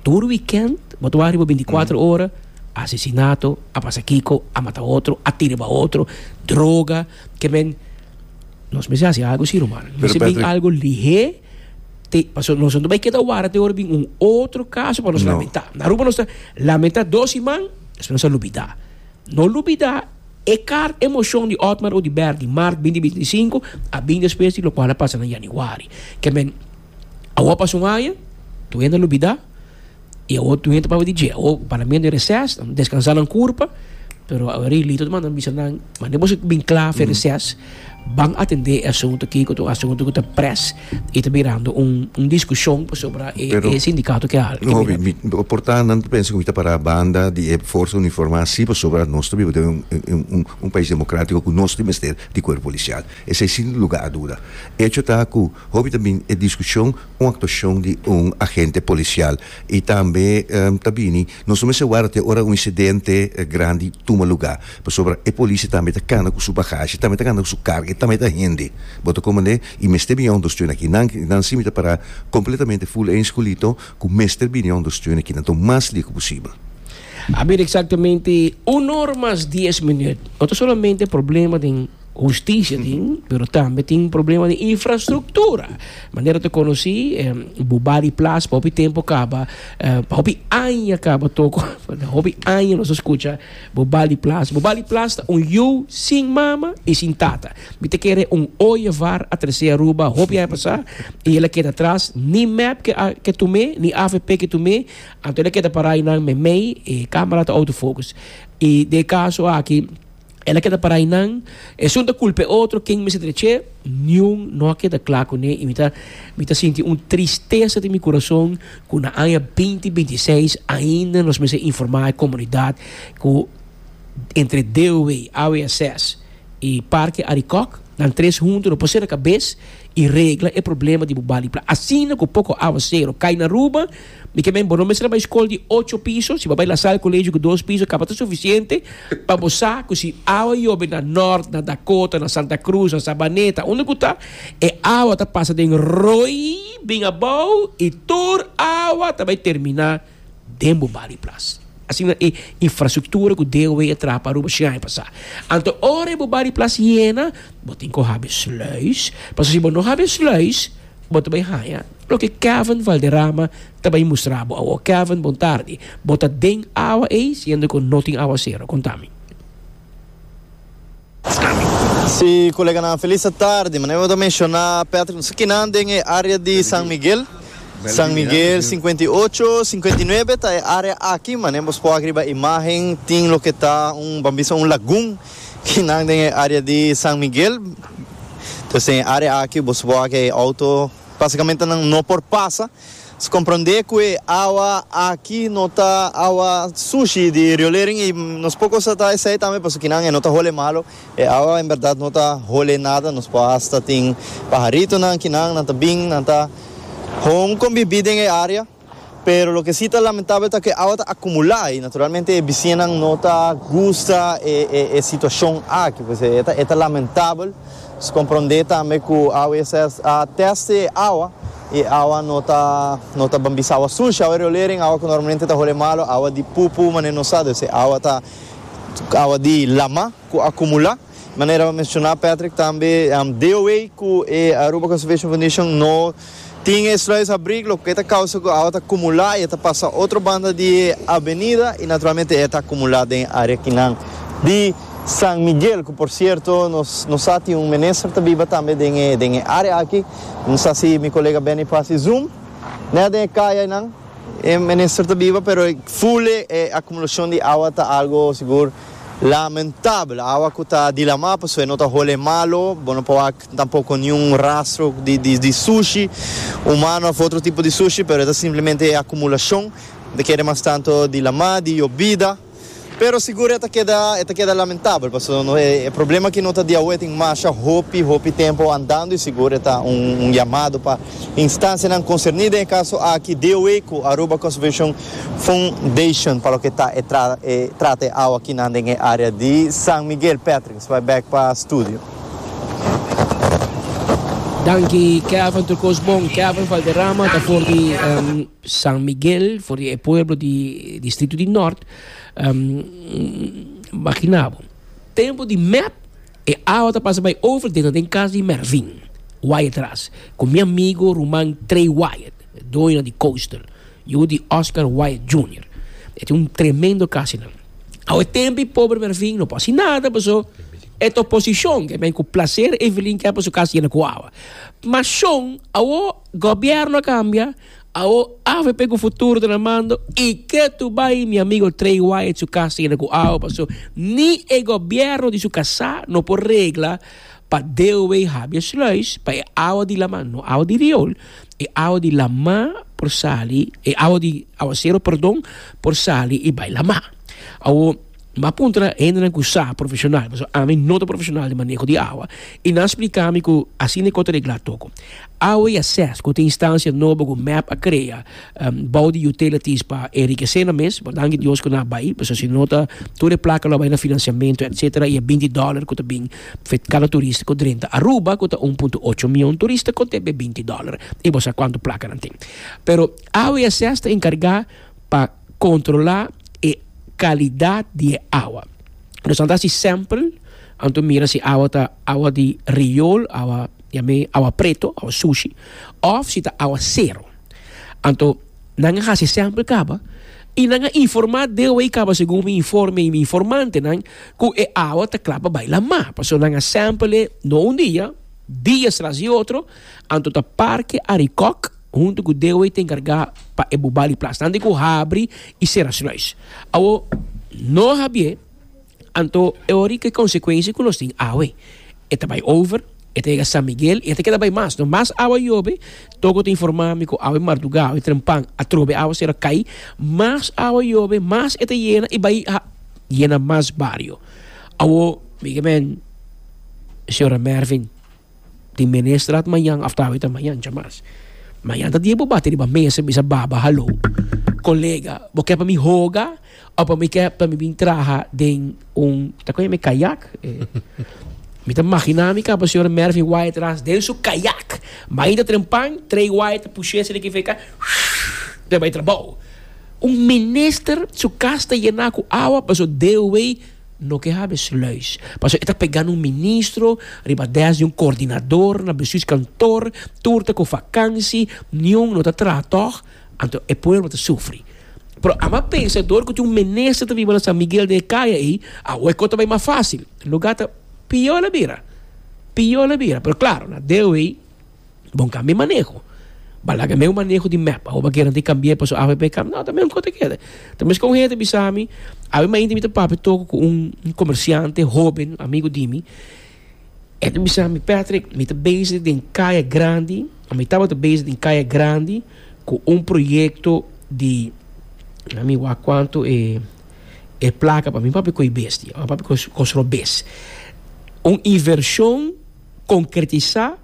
tur weekend bo ta wak riba binticuatro ora asesinato, a pasa kiko, a mata otro, a tira riba otro, droga, ke men. Nos mester hasi algo si ruman. No mester bin algo lihe. te paso nos no bai keda wara te ora bin un otro caso pa nos lamenta na Aruba nos ta lamenta dos iman despues nos a lubida no lubida e car emocion di Otmar Oduber di march binti binti i sinku a bin despues di locual a pasa na Januari kemen awo a pasa un aña toia no lubida y awor tur hende ta papia di dje, awor parlamento en reces, nan descansa nan curpa, pero Henri Lito ta manda nan bisa nan, mane boso bin cla afe reces, ban atende e asunto aki cu ta un asunto cu ta pres y ta birando un discusion pasobra e Pero- sindicato ke hal. No, mi, mi, mi porta nan ta pensa cu mi ta para banda di e forsa uniforma si pasobra nos ta biba den un, un, un, un pais democratico cu nos tin mester di cuerpo policial. Esei sin lugar a duda. Hecho ta cu hopi ta bin e discusion un actuacion di un agente policial y tambe ta bini nos no mester warda te ora un incidente grandi tuma lugar pasobra e policia tambe ta cana cu su bagashi tambe ta cana cu su carga y tambe ta hende bo ta comprende y mester bini a ondersteuna aki nan nan si mi ta para completamente full eens cu Lito cu mester bini a ondersteuna aki nan ta un mas licu posibel. A bira exactamente uno ora mas dies minut no ta solamente problema den. Hustisia tin, pero tambe tin un problema di infrastruktura. Manera ta konosí, bo ba di plas pa hopi tempu kaba, pa hopi aña kaba toko, na hopi aña nos a skucha bo ba di plas. Bo ba di plas ta un yu sin mama i sin tata. Mi ta kere un oye var a tresé Aruba hopi aña pasá i el a keda atras. Ni mep ke a ke tum'é, ni avp ke tum'é. Anto el a keda pará einan meimei e kámara ta autofocus. I den e kaso aki. El a keda para einan. Esun ta culpa e otro. Ken mester dreche? Niun no a keda cla cu ne. Y mi ta, mi ta sinti un tristeza den mi curason cu na aña binti binti seis ainda nos mester informa e comunidad cu entre Deoway, AWSS y Parke Arikok nan tres hunto no por sera cabes y regla e problema di bo bali pla. Asina cu poco aguacero cay na Aruba. Mi ke men bo no mester a bai skol di ocho piso, si bo a bai Lasalle Colegio ku dos piso kaba ta sufisiente pa bo sa ku si awa yobe na Nort, na Dakota, na Santa Cruz, na Sabaneta, unda ku ta, e awa ta pasa den roi bin abou i tur awa ta bai terminá den bo bali plas. Asina e infrastruktura ku DOW a traha pa Aruba shen aya pasá. Anto ora e bo bali plas yena, bo tin ku habi sluis, pasobra si bo no habi e sluis, Bo ta bai haña loke Kevin Valderrama ta bai mustra bo awor. Kevin, bon tardi. Bo ta den awa ei siendo ku no tin awasero. Konta mi. Si, koleganan felis ta tardi. Manera ku bo ta menshoná, Patrick, no sa kinan den e área di San Miguel. San Miguel sinkuenta i ocho, sinkuenta i nuebe ta e área aki. Manera ku bo por wak riba imágen tin loke ta un, ban bisa un lagun. Kinan den e área di San Miguel. Pues den e área aki boso por haga e outo, básikamente nan no por pasa. So komprondé ku e awa aki no ta awa sushi di riolering i nos por kos tratá esei tambe pasobra kinan e no ta hole malu. E awa en bèrdat no ta hole nada, nos por hasta tin paharitonan kinan nan ta bin, nan ta hon kombibí den e área. Pero loke si ta lamentabel ta ku e awa ta akumulá i naturalmente e bisiñanan no ta gusta e situashon aki. Pues e ta e ta lamentabel. Nos komprondé tambe ku AWS a tèste e awa i e awa no ta no ta bambisa awa sushi, awa riolering, awa ku normalmente ta hole malu, awa di pupu manera nos sa. Pues e awa ta awa di lama ku akumulá. Manera bo a menciona Patrick tambe DOA cu e Aruba Conservation Foundation no tin e sluis abrig loke ta causa cu awa ta cumula y e ta pasa otro banda di e avenida y naturalmente e ta acumula den e area kinan di San Miguel cu por cierto nos no sa tin un minister ta biba tambe den e area aki no sa si mi colega Benny Paz y Zoom nea den e caya enan e minister ta biba pero full e acumulacion di awa ta algo sigur Lamentabel, awa ku ta di lamá pasobra e no ta hole e malo, bo no por wak tampoco niun rastro di sushi humano of otro tipo di sushi, pero e ta simplemente e acumulacion ta kere mas tanto di lamá, di yobida. Pero sigur e ta keda, e ta keda lamentabel pasobra e problema aki no ta di awe, tin masha hopi, hopi tempo andando y sigur e ta un llamado pa. Instansianan konserní den e kaso aki, DOE ku Aruba Conservation Foundation pa loke ta e trata e awa kinan den e área di San Miguel. Patrick bai bèk pa studio. Danki Kevin tur kos bon. Kevin Valderrama ta for di San Miguel, for di e pueblo di distrito di Nort. Makina bo. Tempo di mep. E awa ta pasa bai over dentro den cas di Mervin Wyatt ras cu mi amigo ruman Trey Wyatt, doño di Coastal, yu di Oscar Wyatt Junior. E tin un tremendo cas hinan. Awa e tempi pobre Mervin no por haci nada paso e ta oposicion ke men cu placer Evelyn ke hapo su cas yena cu awa. Ma shon, awo gobierno a cambia, Awo avp cu futuro ta na mando y ke tu bay mi amigo Trey Wyatt su cas ta yena cu awa paso ni e gobierno di su casa no por regla pa deo wey habia sluis pa e awa di lama no awa di riol e awa di lama por sali e awa di aguacero perdon por sali y bay lama awo N bai a puntra na hendenan ku sa profeshonal, pasobra ami no ta profeshonal di maneho di awa, i nan a splika mi ku asina i kota reglá tokon. Awa i ases, ku ta e instansia nobo ku mep a krea bou di utilities pa enrikesé nan mes, bo danki Dios ku nan a bai, pasobra si no ta tur e plaka lo a bai na finansiamentu etsetera i e binti dòler ku ta bin for kada turista ku drenta Aruba ku ta un punto ocho mion turista konta e binti dòler i bo sa kuantu plakanan tin. Pero awa i ases ta enkargá. pa kontrolá e kalidat di e awa. Nos a da si sèmpel, anto mira si awa ta awa di riol, awa yam'é awa preto, awa sushi, òf si ta awa sero. Anto nan a hasi sèmpel kaba i nan a informá DOI kaba segun mi informe i mi informantenan ku e awa ta kla pa bai lamá. Pasobra nan a sèmpel e, no un dia, dias tras di otro, anto ta parke Arikòk. Huntu ku Dewey ta enkargá pa e bubá di plas tantu ku habri i sera sluis. Awo no habié, anto e ora di konsekuensia ku nos tin awe. E ta bai over, e ta yega San Miguel i e ta keda bai mas. Mas awa yobe, Togo ta informá mi ku awe mardugá, awe trempan, atrobe awa sera kai. Mas awa yobe, mas e ta yena i bai yena mas bario. Awo, mi ke men, señora Mervin. tin menestrad mañan of tal vez ta mañan chamas. Mañan ta dia bo bati riba mesa bisa baba hallo colega bo ke pa mi hoga o pa mi ke pa mi bin traha den un ta koe me kayak eh, mi ta magina mi kaba señor Mervin wai atras den su kayak mañan ta trempan trei wai ta pushe asina ki feka ta bai trabao un minister su kas ta yena ku awa paso deo wey No ke hab'e sluis. Pasobra e ta pegá na un ministro, riba dès di un kordinador, na bestuurskantoor, tur ta ku vakansi, niun no ta traha tòg, anto e pueblo ta sufri. Pero a m'a pensa dor ku tin un minister ta biba na San Miguel den e kaya ei, awor e kos ta bai mas fásil. Lugá ta pior a bira, pior a bira. Pero, klaro, na deo ei. Bon cambia e maneho. Ba laga meu maneho di map. Awoba keren tin cambi'e paso avp cambia. No, ta mesmo cos ta keda. Ta mesco un hende bisami, Awe mainta mi ta papia toco cu un comerciante hoben, amigo di mi. E ta bisami, Patrick, mi ta bezig den Kaya Grandi, of mi tabata bezig den Kaya Grandi cu un proyecto di, na mi wak cuanto e, e placa pa mi. Mi papia cu e bestia. Mi papia cu, cu sro bes. Un inversion. Concretisá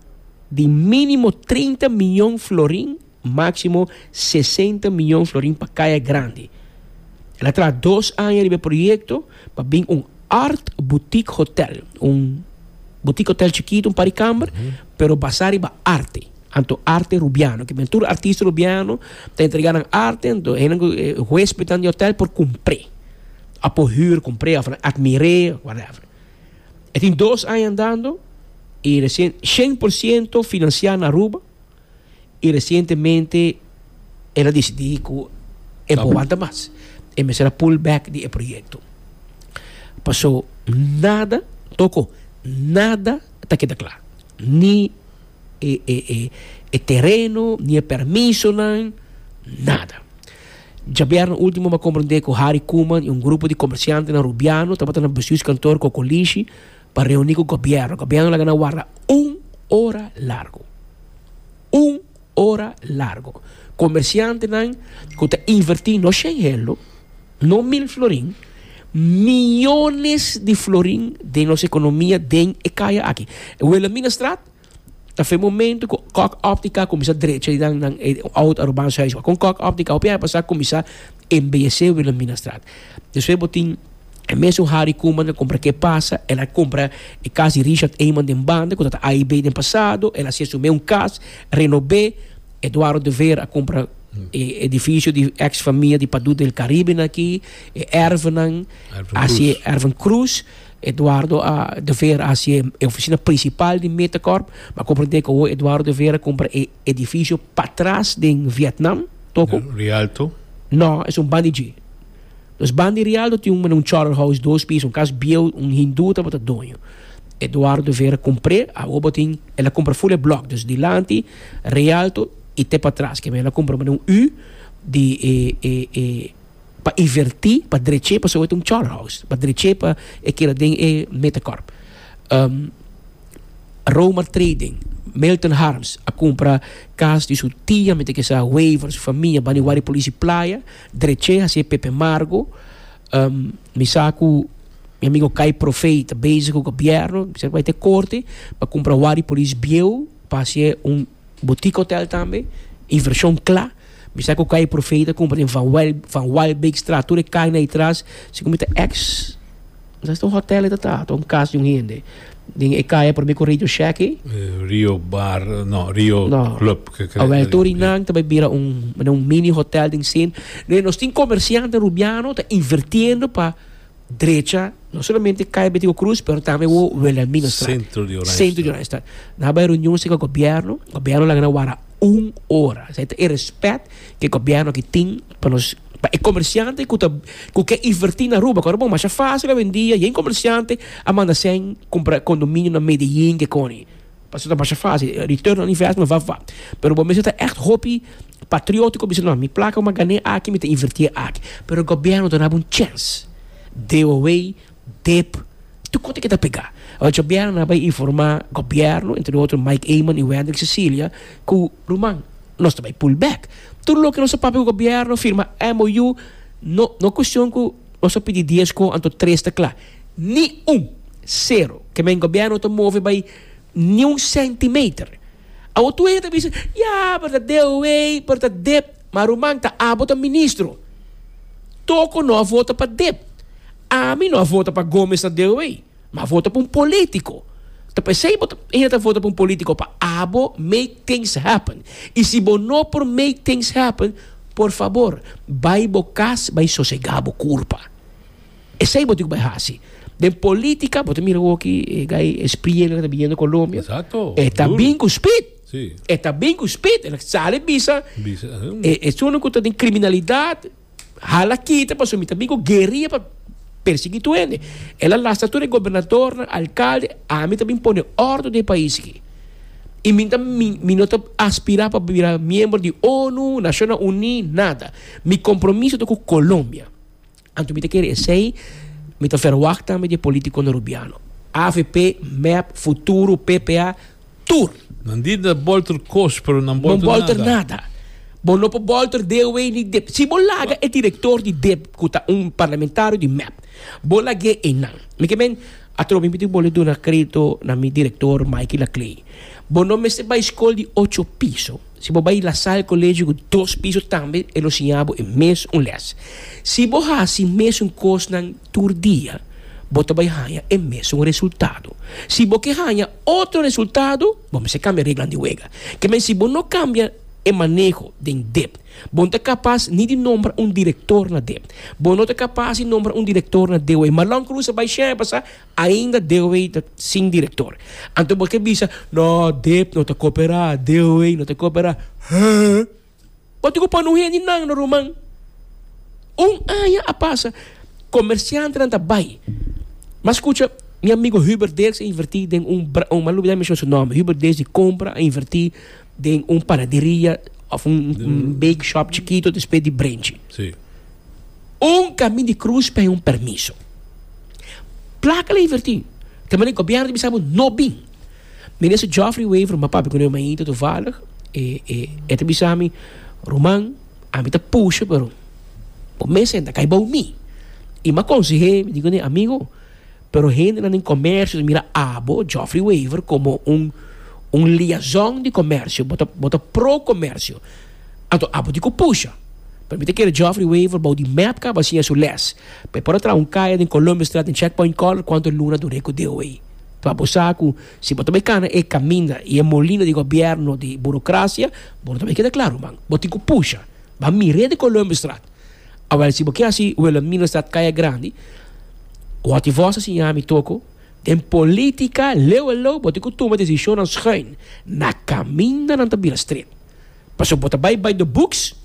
di mínimo trinta miyon florin, máksimo sesenta miyon florin pa Kaya Grandi. El a traha dos aña riba e proyekto pa bin un art boutique hotel, un boutique hotel chikitu, un par di kamber, pero basá riba arte, anto arte Rubiano. Ke biba tur artista Rubiano ta entregá nan arte, anto esnan ku e huéspednan di hotel por kumpr'é, a por hür, kumpr'é òf admir'é, whatever. E tin dos aña andando y recien shen por ciento financia na Aruba y recientemente el a decidi cu e no aguanta mas. E mester a pull back di e proyecto. Paso nada, Toko, nada ta keda cla. Ni e e e tereno, ni e permisonan, nada. Djabièrnè último m'a komprondé ku Harry Koeman i un grupo di komersiantenan Rubiano tabata na bestuurskantoor Kokolishi pa reuní ku gobièrnu. Gobièrnu laga nan warda un ora largu. Un ora largu. Komersiantenan ku ta invertí no shen helu, no mil florin, miónes di florin den nos ekonomia den e kaya aki. Wela mi na strat Ta fe momento cu Kok Optica cuminsa drecha nan nan e oud Arubaans huis. Con Kok Optica hopi aña pasá cuminsa embellecé Wilhelminastraat. Despues bo tin e mesun Harry Koeman ta compra Qué Pasa, el a compra e cas di Richard Eyman den banda cu ta ta AIB den pasado, el a haci su mes un cas, renobé. Eduardo de Veer a compra e edificio di ex famia di Padú del Caribe aki, e erven nan, Erven Cruz. asi e Erven Cruz. Eduardo a. de Vera a hasié e ofisina prinsipal di Metacorp. Mi a komprendé ku awo Eduardo de Vera a kumpra e edifisio patras den Vietnam, toko? Rialto? Nò, es un bandi dje. Nos bandi Rialto tin un mane un chòrl house dos piso, un kas bieu, un hindú tabata doño. Eduardo de Vera kumpr'é, awo bo tin, el a kumpra ful e blòk, dus dilanti, Rialto, i te patras. Kiabé el a kumpra mane un ü di e e e. Pa iverti, pa dreche pasobra ta un char house, pa dreche pa e keda den e Metacorp. Romer Trading, Milton Harms a cumpra cas di su tia mete ke sa waiver su famia bani wari polici playa dreche haci e Pepe Margo. mi sa cu mi amigo Kai Profee ta bezigo gobierno mi sa cu bay ta e corte pa cumpra wari polici bieu pa haci un Boutique Hotel tambe, invershon kla. Mi sa ku Kai Profee ta kumpra den Van Wyl, Van Wylbeekstraat, tur e kai na i tras, si ku mi ta ex, mi sa esta un hotel e ta ta, ta un kas di un hende. Den e kai a por mi ku Radio Shack i, Rio Bar, no, Rio no, Club, ke kere. awel tur i nan ta bai bira un, mane un mini hotel den sin. Nos tin komersiante Rubiano ta invertiendo pa. drecha no solamente Calle Betico Cruz, pero tambe wo Wilhelmina Straat. Centro de Oranje. Centro de Oranje Straat. Na bay reunión se gobierno, gobierno la gana wara un hora. Zij e respect ke gobierno ki tin pa nos pa e comerciante ku ta ku ke invertir na Aruba. Kor bon masha fácil hoy en día, yen comerciante a manda sen compra condominio na Medellín ke koni. Pasobra ta masha fásil, e return on investment vaf vaf. Pero bo mester ta ègt hopi patriótiko, bisa nò, mi plaka bo mi a gan'é aki, mi ta invertié aki. Pero e gobièrnu ta naba un chèns, DOW, dep, tur kos tin ke ta pegá. Oca Chabiana na bai informá gobièrnu, entre otro Mike Eman i Wendrick Cecilia, ku, Ruman, nos ta bai pull back. Tur loke nos a papia ku gobièrnu, firma MOU, no no e kushon ku nos a pidi dies kó anto tres ta kla. Ni un. Sero. Ke men gobierno ta move bai ni un centimeter. Awor tur hende ta bisa, ya, pero ta deoei, pero ta dep. Ma ruman, ta abo ta ministro. Toko no a vota pa dep. Ami no a vota pa Gomez na deoei. Ma a vota pa un politico. Ta pesei bo ta hende ta vota pa un politico pa abo make things happen. I si bo no por make things happen, por fabor, bai bo kas bai sosega bo kurpa. Esei bo tin ku bai hasi. Den politika bo ta mira awoki e gai e spriñe nan ku ta biniendo Colombia. Exacto. E ta bin ku spit. Si. E ta bin ku spit. E sali bisa. Bisa. E esunnan ku ta den kriminalidat hala kita pasobra mi ta bin ku gueria pa persiguí tur hende. El a lasa tur e gobernadornan, alkalde, ami ta bin pone òrdu den e pais aki. I mi ta mi mi no ta aspirá pa bira miembro di onu, Nacionnan Uní, nada. Mi kompromiso ta ku Colombia. Anto mi ta kere esei, mi ta ferwagt tambe di e politikonan Rubiano, avp, mep, Futuro, ppa, tur. Nan di ta bolter kos, pero nan Bon bolter bolter nada. nada. Bo no por bolter deaway ni dip. Si bo laga e direktor di dip, ku ta un parlamentario di mep, bo lag'é einan. Mi ke men, atrobe mi tin bole duna kredito na mi direktor Mikey Laclay. Bo no mester bai skol di ocho piso. Si bo bai lasá e kolegio ku dos piso tambe e lo siña bo e mes un lès. Si bo hasi mesun kosnan tur dia, bo ta bai haña e mesun resultado. Si bo ke haña otro resultado, bo mester kambia reglanan di wega. Ke men si bo no kambia e maneho den dep, bo no ta kapas ni di nombra un direktor na dep. Bo no ta kapas di nombra un direktor na DOE. Malon Cruz a bai shèn a basa. Ainda DOW ta sin direktor. Anto bo ke bisa no dep no ta koperá, DOW no ta koperá. Hee. Bo tin ku pone un hende nan na ruman. Un aña a pasa komersiantenan ta bai. Mas kucha mi amigo Hubert Dirks a invertí den un un m'a lubidá mishon su nòmber. Hubert Dirks di kompra a invertí den un panaderia òf un bakeshop chikito despues di brenchi. Un kami di krus pa e un permiso. Plaka la invertí, ta mane gobièrnu ta bisa bo no bin. Minister Geoffrey Wever, m'a papia ku nan mainta tuvalig, e e e ta bisa mi, Ruman, ami ta pusha pero bo mes senta kai bou mi. I m'a konseh'é, mi di kuné, Amigo, Pero hendenan den comercio mira abo, Geoffrey Wever, como un un liazon di comercio, bo ta bo ta pro comercio, anto abo di cu pusha. Pero mi ta kere Geoffrey Wever bou di mep caba a siña su les, pa e por a traha un caya den Columbus Straat den Checkpoint Corner cuanto luna dur'é cu deo ei. Tua bo sa cu si bo ta bay cana e caminda y e molina di gobierno di burocracia, bo no ta bay keda claro, man. Bo tin cu pusha, ba mir'é den Columbus Straat. Awel, si bo ke hasi Wilhelmina Stad Kaya Grandi, wòrd di vòs a siña mi toko, den politika leu a leu bo tin ku tuma desishonnan schuin na kaminda nan ta bira stret. Pasobra bo ta bai by the books,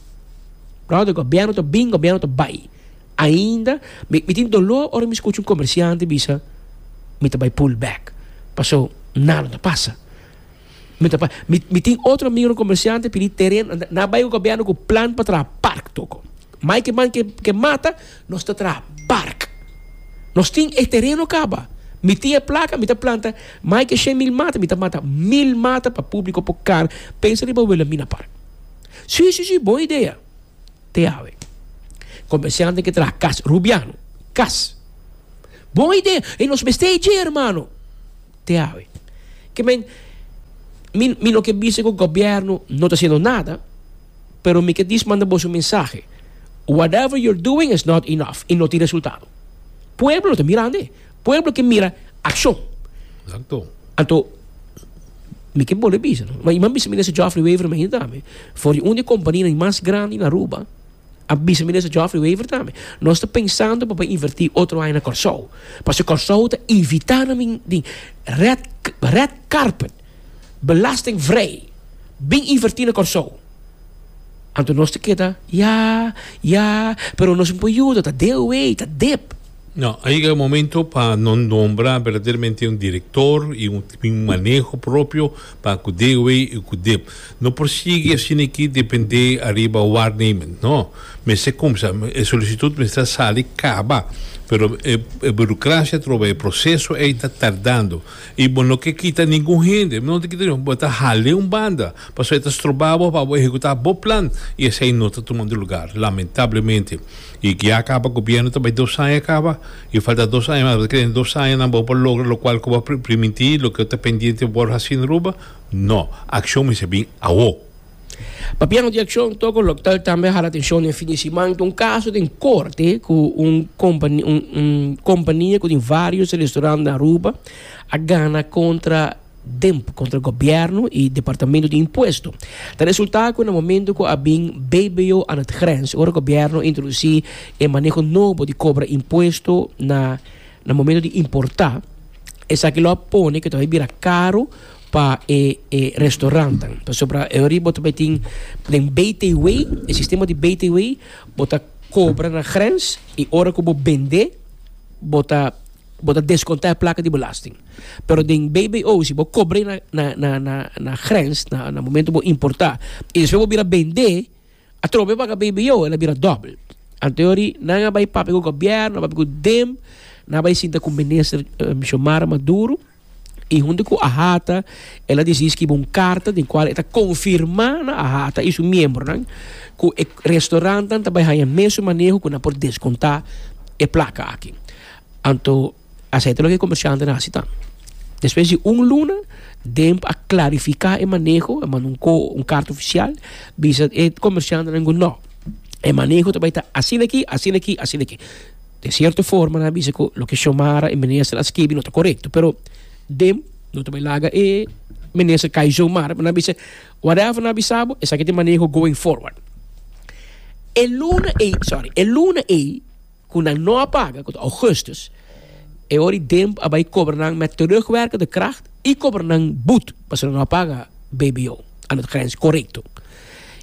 bròder, gobièrnu ta bin, gobièrnu ta bai. Ainda mi mi tin doló ora mi skucha un komersiante bisa mi ta bai pull back, paso nada no ta pasa. Mi tin otro micro comerciante pidi tereno enta na bay gobierno cu plan pa traha park toco mai ki man ke mata nos ta traha park nos tin e tereno caba mi tin e placa mi ta planta mai ke shen mil mata mi ta mata mil mata pa publico por car pensa riba Wilhelmina park si si si bon idea te awe comerciante ke traha kas rubiano kas bon idea y nos mester dje hermano. te awe. Ke men, mi, mi no ke bisa ku gobièrnu no ta hasiendo nada, pero mi ke dish manda boso un mensahe, whatever you're doing is not enough i no tin resultado. Pueblo lo ta mirande. Pueblo ke mira akshon. Exacto. Anto, mi ke bolbe bisa, no. Iman bisa mi nese Geoffrey Weverman hinda tambe, for di un di e kompania mas grandi na Aruba, a bisa Minister Geoffrey Wever tambe, nos ta pensando pa por inverti otro haya na Corsou, pasobra Corsou ta evita nan bin di red red carpet, belasting vrij, bin inverti na Corsou. Anto nos ta keda ya, ya, pero nos no por yuda, ta deo wey, ta dep. No, a yega e momento pa no nombra berdaderamente un director y un maneho propio. Pa cu de wey y cu de. No por sigui asina aki depende ariba waarneming. No. Mester cumsa. E solicitud mester a sali caba. Pero e burocracia atroba, e proceso ey ta tardando. Y bo no ke kita ningun hende. No ta kita ningun hende. Bo ta hale un banda. Pasobra e ta stroba bo pa bo ehecuta bo plan y esey no ta tumando lugar. Lamentablemente. Y ke a kaba gobierno ta bay dos aña kaba y falta dos aña mas bo ta kere den dos aña nan bo por logra lokual ku bo primintí loke ta pendiente bo por hasi na Aruba no akshon mester bin awo. Papian di akshon toko lo ta tambe hala atenshon den fin di siman ta un kaso den korte ku un kompania ku tin vários restaurant na Aruba a gana kontra. Demp kontra gobièrnu i departamentu di impuesto. Ta resultá ku na momentu ku a bin BBO aan het grens, ora gobièrnu introdusí e maneho nobo di kobra impuesto na na momentu di importá, esaki lo a pone ku ta bai bira karu pa e e restorannan. Pasobra ori bo ta bai tin den BTW, e sistema di BTW, bo ta kobra na grens i ora ku bo bend'é bo ta. Bo ta deskonta e plaka di belasting. Pero den BBO si bo kobr'e na na na na na grens na na momentu bo importá i despues bo bira bend'é a trobe paga BBO el a bira dòbel. Anteori nan a bai papia ku gobièrnu a bai papia ku dem nan a bai sinta ku minister Xiomara Maduro. I huntu ku Ahata el a desidi skibi un karta den kual e ta konfirmá na Ahata i su miembronan ku e restaurantnan ta bai haña mesun maneho ku nan por deskontá e plaka aki. Anto, asei ta loke e komershantenan a hasi ta. Despues di un luna, Demp a klarifiká e maneho, a manda un ko un karta ofisial bisa e komershantenan ku, nò, e maneho ta bai ta asina aki, asina aki, asina aki. De sierto forma nan a bisa cu loke Xiomara y Minister a skibi no ta corecto, pero dem no ta bay laga e Minister cay zomaar, nan a bisa whatever nan a bisa bo esaki ta e maneho going forward. E luna ey, sorry, e luna ey cu nan no a paga, cu ta Augustus, e ora y dem a bay cobra nan met terugwerken de kracht y cobra nan boet pasobra nan no a paga bbo, a no ta grens corecto.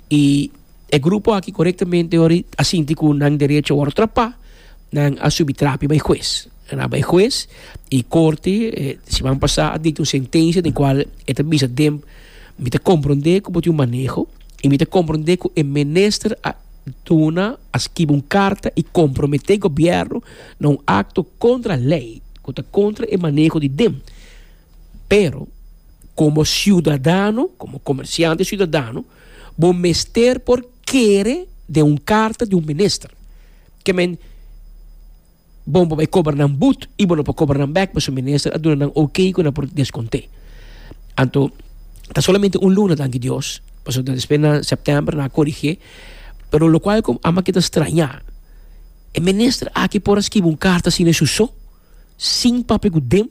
Y E grupo aki korektamente ori a sinti ku nan derecho a wòrdu trapá, nan a subi trapi bai hues. Nan a bai hues i korte siman pasá a dikta un sentensia den kual e ta bisa, den, mi ta komprondé ku bo tin un maneho i mi ta komprondé ku e minister a duna, a skibi un karta i komprometé gobièrnu na un akto kontra lei, ku ta kontra e maneho di dem. Pero, komo siudadano, komo komersiante siudadano, Bo mester por kere den un karta di un minister. Ke men bon bo bai kober nan but i bo no por kober nan bek pasobra minister a duna nan OK ku nan por deskonté. Anto ta solamente un luna, danki Dios, pasobra ta despues na sèptèmber nan a korigé, pero lokual ku ama ke ta strañá e minister aki por a skibi un karta asina su so, sin papia ku dem?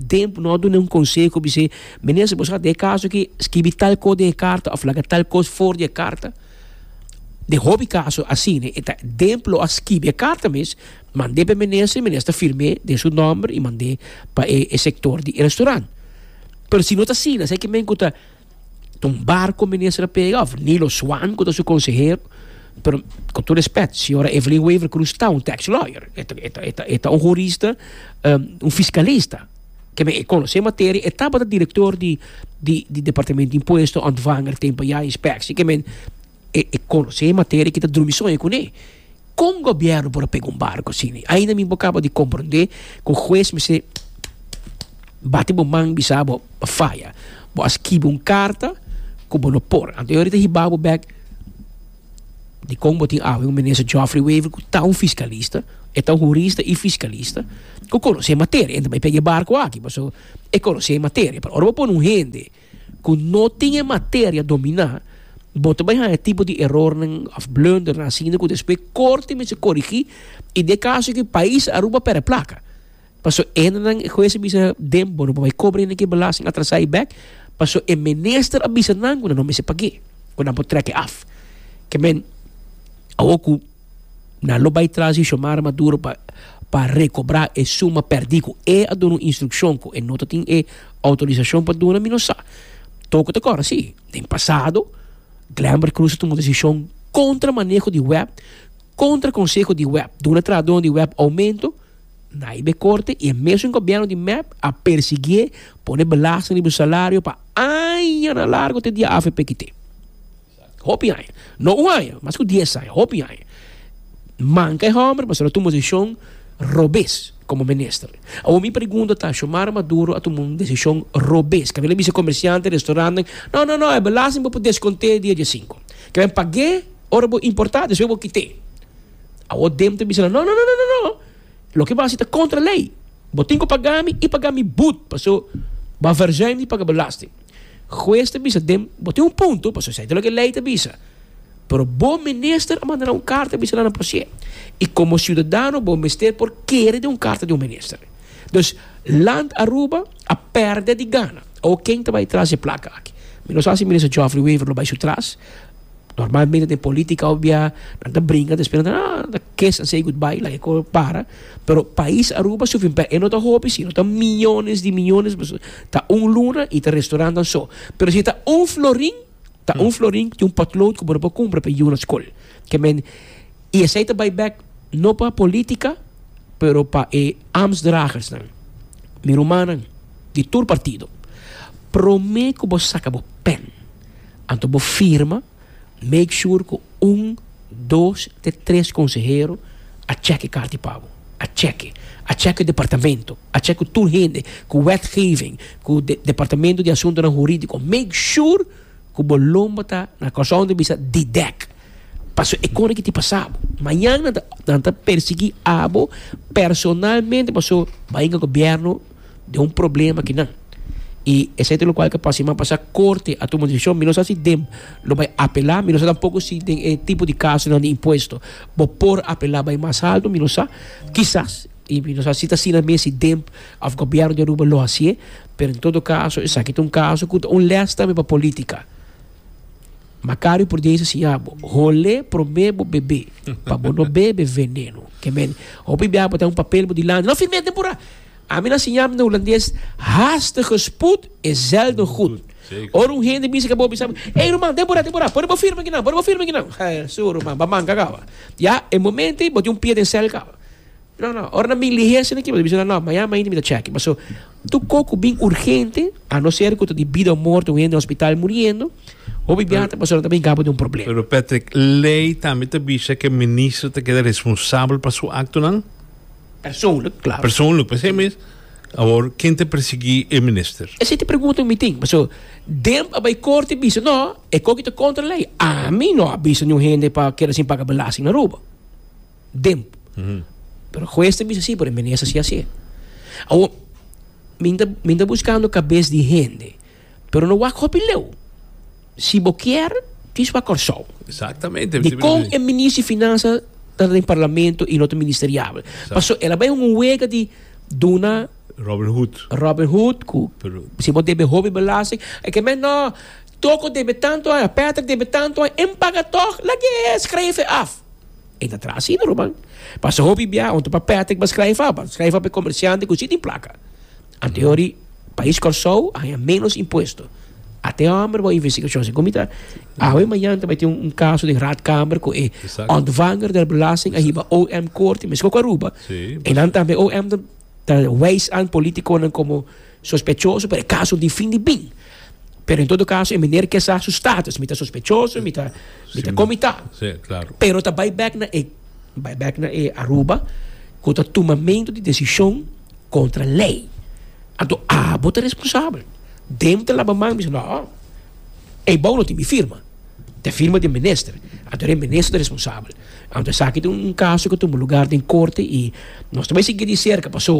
Tempu no a duna un conseho bisé, Meneer, si bo sa ta e caso aki, skibi tal cos den e carta of laga tal cos for di e carta. Den hopi caso asina, e ta den ploa a skibi e carta mes, mand'é pa e minister, e minister ta firm'é den su nomber i mand'é pa e sector di e restaurant. Pero si no ta asina, esei ki men ku ta. Ton Barco minister a pega of Nilo Swan ku ta su konsehero. Pero kon tur respet, señora Evelyn Wever Cruz ta un tax lawyer, e ta e ta e ta e ta un jurista, um, un fiskalista. Ke men e konosé materia, e tabata direktor di di di departamento di impuesto, ontvanger, tempo ya, inspeksie. Ke men E conoce e materia ki ta drumi soña cune. Con gobierno por a pega un barco asini? Ainda mi bo caba di comprende cu hues mester bati bo man bisa bo a faya. Bo a skibi un carta cu bo no por. Anto e ora di ta hiba bo bek dicon bo tin awe un minister Geoffrey Wever cu ta un fiscalista, e ta un hurista y fiscalista cu conoce e materia. E ta bay pega e barco aki pasobra e conoce e materia. Pero ora bo pone un hende. ku no tin e materia dominá, bo ta bai haña e tipo di erornan òf blundernan asina ku despues e korte mester korigí, i den e kaso aki pais a rumba pèrdè plaka. Paso hendenan, e hues a bisa den, bo no por bai kobra hende ki e belasting atrasá i bèk, paso e minister a bisa nan ku nan no mester pag'é, ku nan por trèk'é af. Ke men, awor ku. Nan lo bai tras di Xiomara Maduro pa pa rekobra e suma pèrdí ku e a duna un instrukshon ku e no ta tin e outorisashon pa duna, mi no sa. Toku ta kòrda si, den pasado, Glamber Cruz a tuma un desishon kontra maneho di wèp, kontra konseho di wèp, duna trahadónan di wèp oumentu, nai be korte i e mesun gobièrnu di mep a persiguié, pone belasting riba su salario pa añanan largu te dia afp kité. Hopi aña, no un aña, mas ku dies aña, hopi aña, manka e hòmber pasobra a tuma un desishon robes komo minister. Awor mi pregunta ta, Xiomara Maduro a tuma un desishon robes? Kaba el a bisa komersiante, restaurantnan, No, no, no, e belasting bo por deskont'é di e diasinku. Kaba en pag'é ora bo importá, despues bo kit'é. Awor dem ta bisa nan, No, no, no, no, no, loke bo hasi ta kontra lei. Bo tin ku pagá mi i pagá mi bud, paso bo a vèrjai mi di pagá belasting. Hues ta bisa dem, Bo tin un punto, pasobra esei ta loke lei ta bisa. Pero bo minister a manda nan un karta a bisa nan pasié. I komo siudadano bo mester por kere den un karta di un minister. Dus, Land Aruba a pèrdè di gana. Awor ken ta bai tras e plaka aki? Mi no sa si Minister Geoffrey Wever lo bai su tras. Normalmente den polítika, nan ta bringa despues nan ta, ah. Kes a say goodbye la eco para pero pais Aruba su finpè e no ta hopi sino ta miyones di miyones pasobra ta un luna y ta restaurantan so pero si ta un florin ta un florin tin un potlood cu bo no por cumpra p'e yu na school ke men y esey ta bay bek no pa politica pero pa e ambtsdragers nan mi rumannan di tur partido prome cu bo saca bo pen anto bo firma. Make sure cu un, dos te tres consehero a check e karta di pago. A check e. A check e departamento. A check e tur hende, cu wetgeving, cu de departamento di asuntonan huridico. Make sure cu bo lomba ta na Curaçao ta bisa di dek. Pasobra e con aki tin pasa bo. Mañana nan ta persegui abo personalmente pasobra bay na gobierno de un problema ki nan. I esei ta lokual ke pa siman pasa korte a tuma un desishon, mi no sa si dem lo bai apelá, mi no sa tampoko si den e tipo di kasonan di impuesto bo por apelá bai mas alto, mi no sa. Kisas, i mi no sa si ta asina mes si dem òf gobièrnu di Aruba lo hasié, pero en todo kaso esaki ta un kaso ku ta un lès tambe pa polítika. Macario por di Hesus siña bo, Hol'é promé bo bebé, pa bo no bebe veneno. Ke men, hopi bia bo ta un papel bo dilanti, lo firm'é den pura. Ami nan siña'm den Hulandes, Haastige spoed is zelden goed. Ora un hende bisa ke bo, bisa bo, Ey ruman, den pura, den pura, por bo firma aki nan, por bo firma aki nan. Su ruman, ba manca kawa. Ya e momento ey bo tin un pie den cel kawa. No no, ora nan bin lihé asina kiba ta bisa nan no, mañana mainta mi ta chèki. Paso tur ko ku bin urgente, a no ser ku ta di bida o morto, un hende den hospital muriendo, hopi biaha ta pasó nan ta bin gaba di un problema. Pero Patrick, lei tambe ta bisa ku e minister ta keda responsabel pa su aktonan? Persoonlijk, klaar. Persoonlijk, p'esei mes awor ken ta persiguí e minister? Esei ta e pregunta ku mi tin, paso Demp a bai korte a bisa no, e koki ta kontra lei. Ami no a bisa niun hende pa keda sin paga belasting na Aruba. dem. Pero juez ta bisa sí, pero mene sa sí así. Awo, minta, minta buscando cabez di hende. Pero no wak hopi leu. Si bo kier, tis wak Corsou. Exactamente. Di kon e minister finanza ta den parlamento y no ta ministeriabel. Paso, el a bay un wega di duna Robin Hood. Robin Hood, ku si bo debe hobi belasting, e ke men no, Toko debe tanto ay, Patrick debe tanto ay, en paga toch, lague e schrijven af. E ta traha asina, ruman. Pasa hopi bia, un ta pa Patrick pa skrijf af, pa skrijf af e komersiante ku si tin plaka. Anteori, pais Kòrsou a haña ménos impuesto. A te hòmber wou investigashon si kumita. Awe mañan ta bai tin un kaso den Raadkamer ku e òntvanger del belasting a hiba OM korte, meskos ku Aruba. E nan tambe OM ta wijs an polítikonan komo. Sospechoso, pero e kaso difindi bin. Pero en todo kaso e miner ke sa su status, mi ta sospechoso, mi ta komitá. Pero ta bai bèk na e, bai bèk na e Aruba ku ta tumamentu di desishon kontra lei. Anto abo ta responsabel. Dem ta laba man, bisa no, ei bou no tin mi firma, ta e firma di e minister. Anto e minister ta responsabel. Anto esaki ta un kaso ku ta tuma lugar den korte i nos ta bai sigui di serka, pasó.